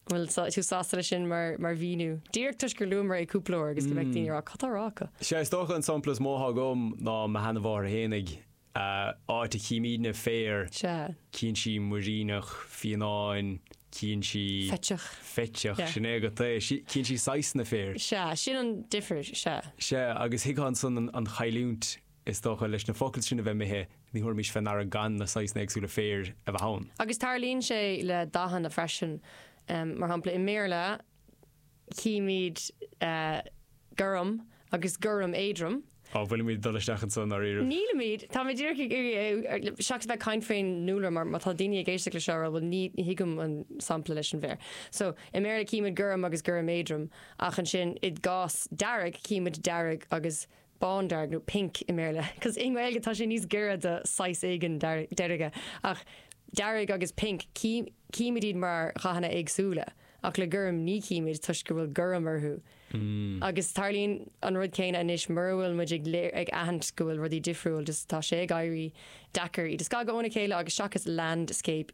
An bhfuil tú sásta leis sin mar mhíniú? Díreach toisc gur luamar é cúpla uair agus go mbeadh daoine ag rá 'cad tá á rá acu? Sea, is dócha an sampla is mó atá agam ná mo sheanamháthair fhéinig. Áit a chímídne féar, cíonn sí muiríneach, fionnán, cíonn sí. Feiceach. Feiceach, sin é agat é. Cíonn sí saghsanna féir. Sea, sin an difir, sea. Sea, agus thuigfeá ansan an chailliúint. Is dócha, leis na focail sin a bheith imithe, ní thabharfaimis fé ndeara gan na saghsanna éagsúla féir a bheith ann. Agus tarlaíonn sé le dathanna freisin. Mar shampla, i mBéarla, chímid gorm agus gorm éadrom. Á, an bhfuilimid ag dul isteach anso i ndáiríribh? Nílimid. Táimid díreach ag iarraidh, seachas a bheith ag caint fén ndúlra, mar má tá daoine ag éisteacht leis seo a rá, bhuel, ní thuigim an sampla leis an bhféar. So, i mBéarla, címid gorm agus gorm éadrom, ach ansin, i gcás dearg, címid dearg agus bándearg nó pink i mBéarla cos i nGaeilge tá sé níos giorra do saghas éigin deirge ach dearg agus pink címid iad mar dhathanna éagsúla ach le gorm ní chímid toisc go bhfuil gorm orthu agus tarlaíonn an rud céanna anois mura bhfuil muid ag ag aithint go bhfuil rudaí difriúil just tá sé ag éirí deacair iad a scagadh óna chéile agus seachas landscape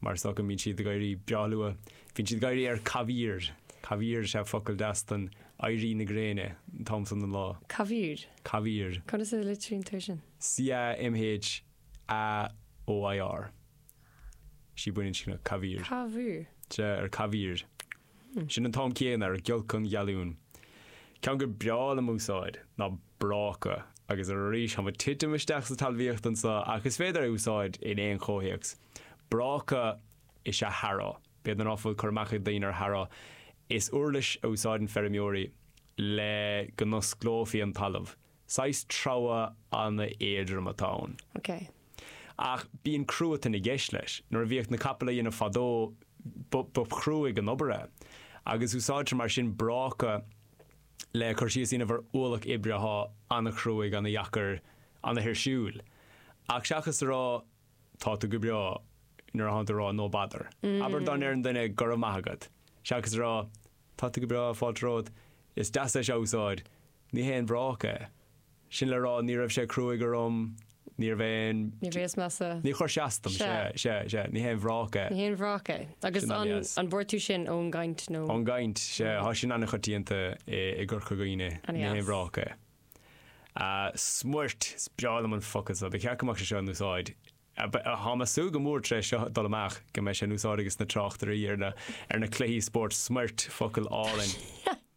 Mar is dócha, bíonn siad ag éirí breá luath. Bíonn siad ag éirí ar camhaoir. Camhaoir is ea focal deas don éirí na gréine an t-am san den lá. Camhaoir? Camhaoir. Conas a litríonn tú é sin? C-a-m-h-a-o-i-r. Sí baininscneach, camhaoir. Camhaoir? Sea, ar camhaoir. Sin an t-am céanna, ar giolc an ghealún. Ceann gur breá liom a úsáid ná. bráca. Agus arís, táimid ag titim isteach sa talmhaíocht anseo ach is féidir é a úsáid in aon chomhthéacs. Bráca is ea harrow. B'fhéidir ná fuil cur amach ag daoine ar harrow. Is uirlis a úsáideann feirmeoirí le go n-osclófaí an talamh. Saghas treabhadh an-éadrom atá ann. Ok. Ach bíonn cruatan i gceist leis. Nuair a bhíodh na capaill á dhéanamh fadó, ba chruaidh an obair é. Agus úsáidtear mar sin bráca. le cur síos a dhéanamh ar ualach oibre athá an-chruaidh, an-dheacair, an-thuirsiúil. Ach seachas a rá 'tá tú go breá' nuair a thánn tú ag rá 'no bother', abair dá ndeireann duine 'go raibh maith agat', seachas a rá 'tá tú go breá, fáilte romhat', is deas é seo a úsáid, ní haon bhráca é. Sin le rá, ní raibh sé cruaigh orm, níorbh aon. Ní bhíos measa. Níor chuir sé as dom. Sea. Sea. Sea. Ní haon bhráca é. Ní haon bhráca é. Agus Sin an an, dheas. an bhfuair tú sin ón gcaint nó? Ón gcaint. Sea. Thá sin an-choitianta i, i gCorca Dhuibhne. An-dheas. Ní haon bhráca é. A, smoirt! Is breá liom an focal so. Ba cheart go mbeadh sé seo in úsáid, ab, thá mé ag súil go mór tar éis seo dul amach go mbeidh sé in úsáid ages na tráchtairí ar na, ar na cluichí spóirt. Smoirt! Focal álainn.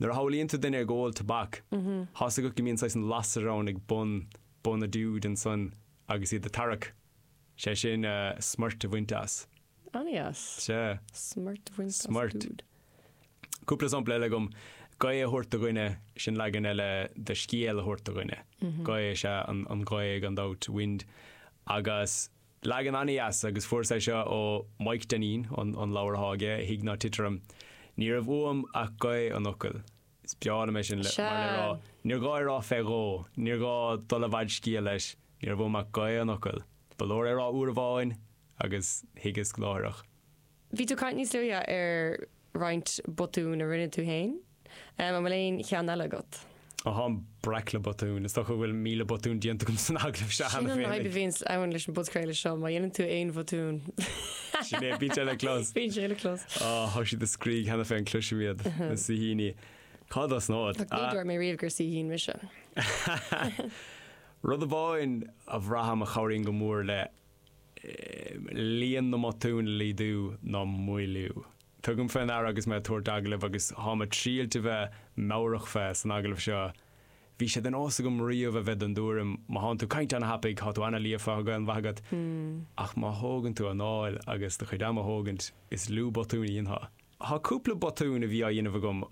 Nuair a shamhlaíonn tú duine ag ól tobac, tá's agat go mbíonn saghas an lasair ann ag bun, bun a dúid ansan agus iad a' tarrac, sé sin eh, smoirt a bhaint as. An-dheas. Sea. Smoirt a bhaint as Smoirt. dúid. Cúpla sampla eile agam, gaoth a thabhairt do dhuine, sin leagan eile de scéal a thabhairt do dhuine. Gaoth is ea an, an ghaoth gan dabht, wind, agus. Leagan an-deas agus fuaireas é seo ó Maidhc Dainín, an leabhar atá aige, Thig Ná Tit Orm. Ní raibh uaim ach gaoth an fhocail. Is breá liom é sin, mar le rá, Sea. níor ghá é rá fé dhó, níor ghá dul i bhfad scéil leis, ní raibh uaim ach gaoth an fhocail. Ba leor é rá uair amháin agus thuigeas láithreach. Bhí tú ag caint níos luaithe ar roinnt botún a rinne tú féin. An bhfuil aon cheann eile agat? Ó tháim breac le botúin. Is dócha go bhfuil míle botún déanta agam san agallamh seo cheana féin. Sin an fhadhb a bhíonn ann leis an bpodchraoladh seo, má dhéanann tú aon bhotún. Sin é, bíonn sé le clos. Bíonn sé le clos. Ó, thá siad ag scríobh cheana féin, cloisim iad, na saoithíní. Cá dos na ód? Ní dúirt mé riamh gur saoithín mise. Rud amháin a bhraithim a chabhraíonn go mór le líon na mbotún a laghdú nó maolú. Tugaim fé ndeara agus mé ag tabhairt agallaimh agus táim ag triailt a bheith meabhrach fé san agallamh seo, bhí sé de nós agam riamh a bheith den dtuairim má thánn tú ag caint ana thapaidh, thá tú ana líofa, thá Gaelainn mhaith agat, ach má thógann tú anáil agus do chuid ama a thógaint, is lú botúin a dhéanfá. Thá cúpla botún a bhí á dhéanamh agam.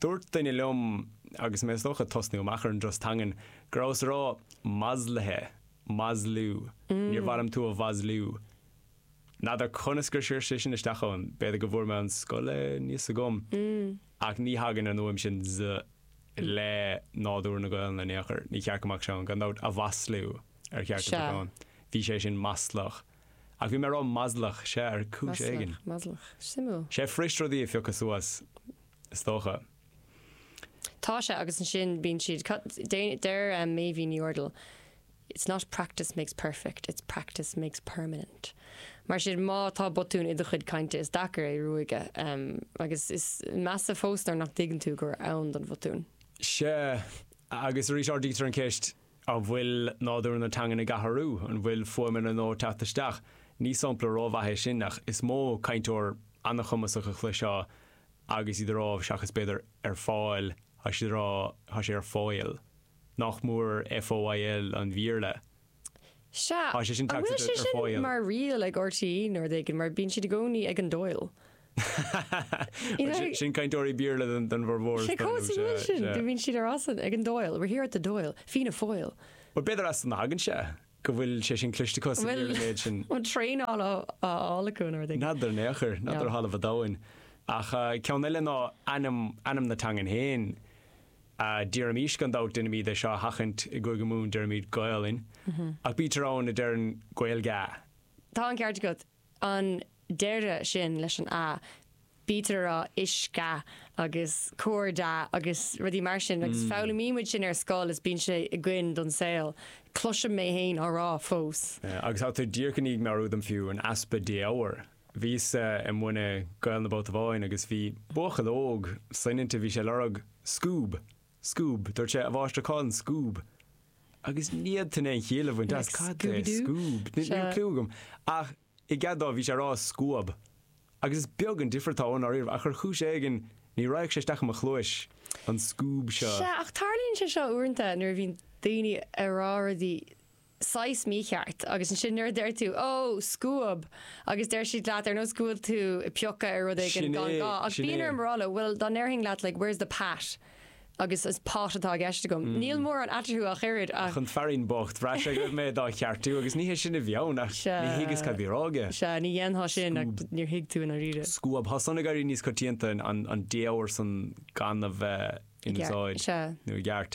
Dúirt duine liom agus mé is dócha ag tosnú amach ar an dturas teangan, go rabhas ag rá 'maslaithe'. maslú, níor mhaith liom tú a mhaslú, n'fheadar conas gur sciorr sé sin isteach chugam, b'fhéidir go bhfuair mé ar scoil é, níl a fhios agam ach ní thagann an fhuaim sin z le nádúr na Gaolainne in aon chor, ní ceart go mbeadh sé ann, gan dabht, a mhaslú ar cheart go mbeadh ann, bhí sé sin maslach ach bhí mé ag rá maslach, sea, ar chúis éigin. Maslach, maslach, suimiúil. Tá sé fuirist rudaí a phiocadh suas, is dócha. Tá sé agus ansin bíonn siad, cad, deir Meidhbhín Ní Urdail It's not practice makes perfect, it's practice makes permanent. Mar sin, má tá botún i do chuid cainte is deacair é a ruaigeadh agus is measa fós nuair nach dtuigeann tú gur ann don bhotún. Sea, agus arís ardaítear an ceist an bhfuil nádúr na teangan ag athrú, an bhfuil fuaimeanna nua ag teacht isteach? Ní sampla ró-mhaith é sin ach is mó cainteoir an-chumasach a chloisfeá agus iad a rá seachas b'fhéidir ar fáil tá siad a rá tá sé ar foil. Nach mór FOIL an Bhéarla. Sea, Tá sé sin an bhfuil sé ar sin fáíl. mar riail ag RTÉ nuair éigin mar bíonn siad i gcónaí ag an dóigh? Bhuel sin sin cainteoirí Béarla don don bhformhór is Sé dóigh cos an bhfuil sin? Do bhíonn siad a rá san ag an Doyle, we're here at the Doyle, Fianna Foil. Bhuel b'fhéidir as san a thagann sé. go bhfuil sé sin cliste cos an bhfuil méid sin an traenáil á fháil acu an rud N'fheadar in aon chor, n'fheadar ó thalamh an domhain. Ach ceann eile ná ainm, ainm na teangan féin. Déarfaimis gan dabht, deinimid é seo a sheachaint i gCúige Mumhan, deirimid Gaolainn. Ach bítear ann a deireann Gaeilge-a. Tá an ceart agat. an deireadh sin leis an a, bítear a rá uisce agus cairde agus rudaí mar sin agus foghlaimíonn muid sin ar scoil is bíonn sé againn don saol. Cloisim mé féin á rá fós. Agus tá tú díreach i ndiaidh meabhrú dom fiú, an easpa défhoghair. Bhíos-sa ag múineadh Gaolainne babhta amháin agus bhí buachaill óg soineanta, bhí sé a lorg scoob. Scoob! Dúirt sé, a mháistir, cá bhfuil an scoob? Agus ní fhéadfainn aon chiall a bhaint as. Cad é scoob? Ní raibh cliú agam. Ach, i gcead dó, bhí sé ag rá scuab. Agus is beag an difir atá ann, dáiríre, ach ar chúis éigin, ní raghadh sé isteach i mo chluais, an scoob seo. Sea, ach tarlaíonn sé seo uaireanta nuair a bhíonn daoine ag rá rudaí saghas mícheart agus ansin nuair a deir tú 'Ó, scuab! agus deir siad leat ar nós go bhfuil tú ag piocadh ar rud éigin Sin é, gan gá ach sin bíonn é. orm a rá leo 'bhuel, dá ndéarfainn leat like, where's the Pat? agus is pot atá i gceist agam. Níl mórán eatarthu ach oiread ach. An fearín bocht, bhraith sé go raibh mé dá cheartú agus ní hé sin a bhí ann ach Sea. ní thuigeas cad a bhí á rá aige. Sea, ní dhéanfá sin ach Scuab. níor thuig tú i ndáiríre. Scuab, tá san ag éirí níos coitianta, an an défhoghar san gan a bheith in Gceart, úsáid sea. nó i gceart.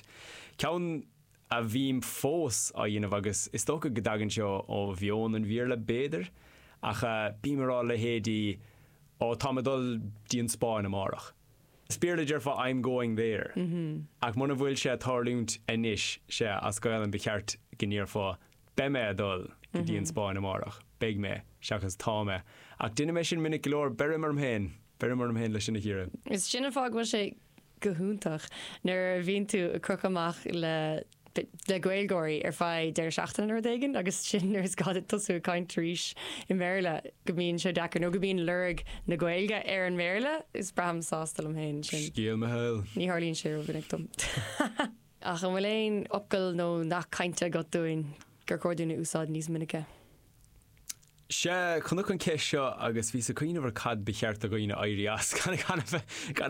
Ceann a bhím fós á dhéanamh agus is dócha go dtagann sé ó mheon an Bhíarla b'fhéidir ach bím ag rá leithéidí oh táim ag dul dtí an Spáinn amárach is Bíarla déarfá I'm going there ach muna bhfuil sé ag tarlúint anois sea as Gaelainn ba cheart go ndéarfá beidh mé ag dul go dtí an Spáinn amárach beidh mé seachas tá mé ach déanaim é sin minic go leor beirim orm féin beirim orm féin leis sin a chíoradh. Sin an fáth go bhfuil sé go hiontach nuair a bhíonn tú ag crochadh amach le le Gaeilgeoirí ar feadh deireadh seachtaine nó rud éigin agus ansin nuair is gá duit tosú ag caint arís i mBéarla go mbíonn sé deacair nó go mbíonn lorg na Gaeilge ar an mBéarla. Is braithim sásta liom féin ansin. Scéal mo shaoil. Ní tharlaíonn sé rómhinic dom. Ach an bhfuil aon fhocal nó nath cainte agat dúinn gur chóir dúinn a úsáid níos minice? Sea, chonac an cheist seo agus bhíos ag cuimhneamh ar cad ba cheart do dhaoine a éirí as gan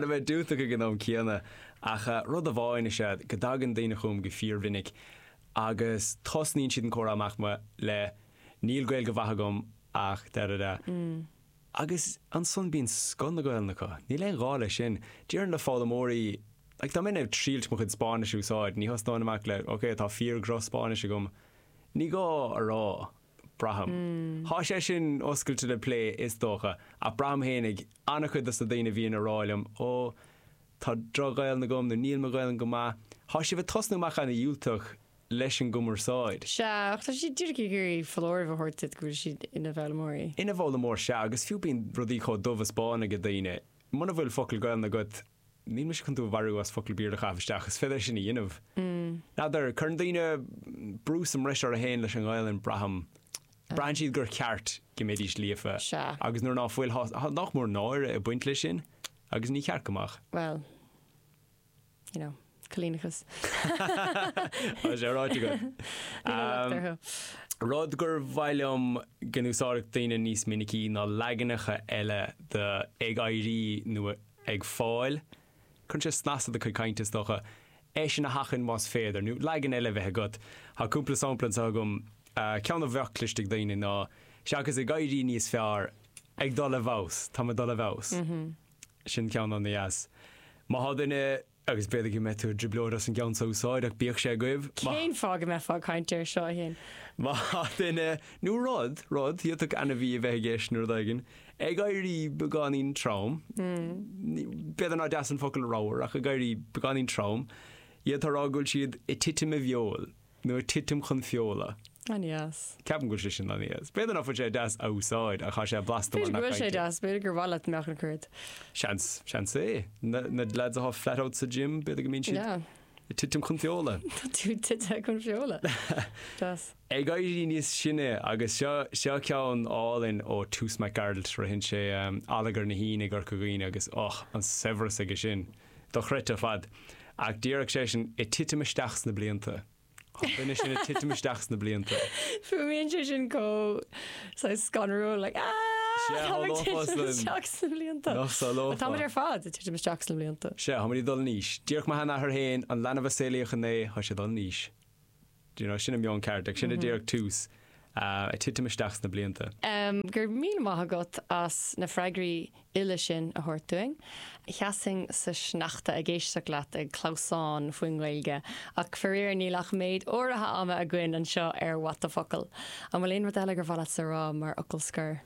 a bheith diúltach ag an am céanna. Ach rud amháin is ea go dtagann daoine chugam go fíormhinic agus tosnaíonn siad an comhrá amach le Níl Gaeilge mhaith agam ach da da da. Agus ansan bíonn scoth na Gaolainne acu. Níl aon ghá leis sin. Déarfainn le foghlaimeoirí like dá mbeinn ag triailt mo chuid Spáinnis a úsáid, ní thosnóinn amach le OK, tá fíor dhroch Spáinnis agam. Ní gá a rá, braithim. Tá sé sin oscailte le plé is dócha, ach braithim féinig ana-chuid dos na daoine a bhíonn ag rá liom, ó, tá droch-Ghaelainn agam nó níl mo Ghaelainn go maith, tá sibh ag tosnú amach ana-dhiúltach leis an gcumarsáid. Sea, ach tá siad díreach ag iarraidh foláireamh a thabhairt duit go bhfuil siad ina bhfoghlaimeoirí. Ina bhfoghlaimeoir, sea, agus fiú bíonn rudaí chomh dubh is bán ag daoine, muna bhfuil focal Gaelainn agat, Níl mise chun tú a mharú as focal Béarla a chaitheamh isteach, is féidir sin a dhéanamh. N'fheadar, cuireann daoine brú sa mbreis orthu fhéin leis an nGaelainn, braithim. Braitheann siad gur cheart go mbeidís líofa agus nuair ná fuil, tá nach mór náire ag baint leis sin agus ní ceart go mbeadh. Bhuel, you know. Coilíneachas. Tá sé ráite agat. Níl an locht orthu. Rud gur mhaith liom go n-úsáidfeadh daoine níos minicí ná leaganacha eile de ag éirí nó ag fáil. Cuireann sé snas i do chuid cainte, is dócha. Iad san a sheachaint, más féidir. Nó leagan eile a bheith agat. Tá cúpla sampla anseo agam. Ceann a bheadh cloiste ag daoine ná, seachas ag éirí níos fearr, ag dul i bhfeabhas. Táim ag dul i bhfeabhas. Sin ceann ana-dheas. Má tá duine Agus b'fhéidir go mbeidh tú i dtrioblóid as an gceann seo a úsáid, ach bíodh sé agaibh. Má. Cén fáth go mbeifeá ag caint air seo, a Shéain? Má tá duine, nó rud, rud, d'fhéadfadh ainmhí a bheith i gceist nó rud éigin, ag éirí beagáinín trom, ní, b'fhéidir nár deas an focal ramhar, ach ag éirí beagáinín trom, d'fhéadfá a rá go bhfuil siad ag titim i bhfeoil. Nó titim chun feola. An-dheas. Ceapaim go bhfuil sé sin an-dheas. B'fhéidir nach bhfuil sé deas a úsáid ach tá sé blasta mar B'fhéidir go bhfuil sé nath-cainte. deas, b'fhéidir gur mhaith leat go mbeadh an cruit. Seans, seans é. Na lads atá flat out sa gym, b'fhéidir go mbíonn siad Yeah. ag titim chun feola. Tá tú tite chun feola. Deas. Ag éirí níos sine agus seo seo ceann álainn ó Toose Mac Gearailt, ritheann sé allagar na hUíne i gCorca Dhuibhne agus och, an saibhreas aige sin. dochreidte ar fad. Ach déarfadh sé sin ag titim isteach sna blianta. Tá an duine sin ag titim isteach sna blianta. Fuaimíonn sé sin chomh saghas scanrúil, like aah! Sea, Táim ag tharlódh fós titim linn. isteach sna blianta. Nach Tá salófá? muid ar fad ag titim isteach sna blianta. Sea, tá muid ag dul in aois. Deireadh mo sheanathair féin, an leanbh a saolaíodh inné, tá sé ag dul in aois. you know, sin an meon ceart, ag sin a déarfadh Toose ag titim isteach sna blianta. Go raibh míle maith agat as na freagraí uile sin a thabhairt dúinn. Sheasfainn sa sneachta ag éisteacht leat ag clamhsán faoin nGaeilge, ach faraor níl ach méid áirithe ama againn anseo ar What the Focal. An bhfuil aon rud eile gur mhaith leatsa a rá mar fhocal scoir?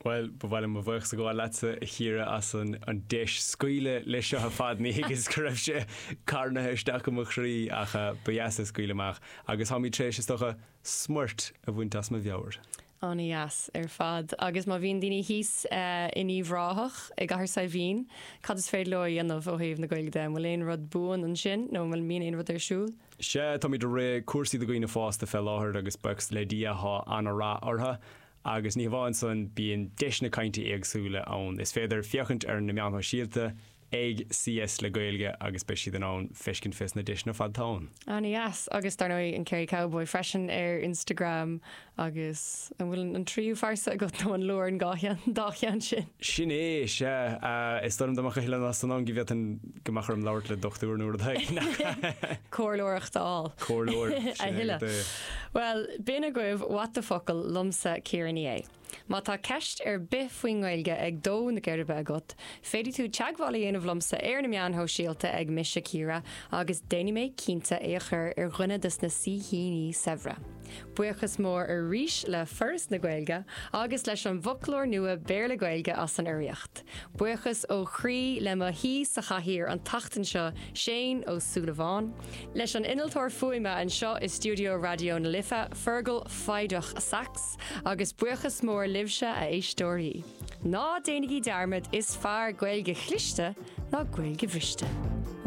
Bhuel, ba mhaith liom mo bhuíochas a ghabháil leatsa, a Chiara, as an deis scaoileadh leis seo ar fad. Níor thuigeas go raibh sé carnaithe isteach i mo chroí, ach ba dheas é scaoileadh amach, agus táimid tar éis, is dócha, smúit a bhaint as mo mheabhair. Ana-dheas ar fad. Agus má bhíonn daoine thíos in Uíbh Ráthach, i gCathair Saidhbhín, cad is féidir leo a dhéanamh ó thaobh na Gaeilge de? An bhfuil aon rud buan ansin nó an bhfuil an mbíonn aon rud ar siúl? Sea, táimid ag rith cúrsaí do dhaoine fásta fé láthair agus buíochas le Dia tá ana-rath orthu. Agus ní hamháin san, bíonn deiseanna cainte éagsúla ann. Is féidir féachaint ar na meáin shóisialta ag CS le Gaeilge agus beidh siad in ann feiscint fés na deiseanna ar fad atá ann. Ana dheas. Agus dar ndóigh an Kerry Cowboy freisin ar Instagram agus an bhfuil an tríú phearsa agat nó an leor an dhá cheann sin? Sin é, sea. Is dóigh liom dá mbeadh a thuilleadh pearsan ann go bhféadfainn go mbeadh orm labhairt le dochtúir nó rud éigin. Comhairleoireacht a fháil. Comhairleoir, sin é go A thuilleadh. dté. Bhuel, b'in agaibh What the Focal! liomsa, Ciara Ní É. Má tá ceist ar bith faoin nGaeilge ag dó na geirbe agat, féadfaidh tú teagmháil a dhéanamh liomsa ar na meáin shóisialta ag Mise Ciara agus déanfaidh mé cinnte é a chur ar dhuine dos na saoithe saibhre. Buíochas mór arís le Foras na Gaeilge agus leis an bhfoclóir nua Béarla-Gaeilge as an urraíocht. Buíochas ó chroí le mo shaoi sa chathaoir an tseachtain seo, Shane Ó Súilleabháin, leis an innealtóir fuaime anseo i stiúideo Raidió na Life, Fergal Foighdeach, Saxe, agus buíochas mór libhse, a éisteoirí. Ná déanaigí dearmad, is fearr Gaeilge chliste ná Gaeilge bhriste!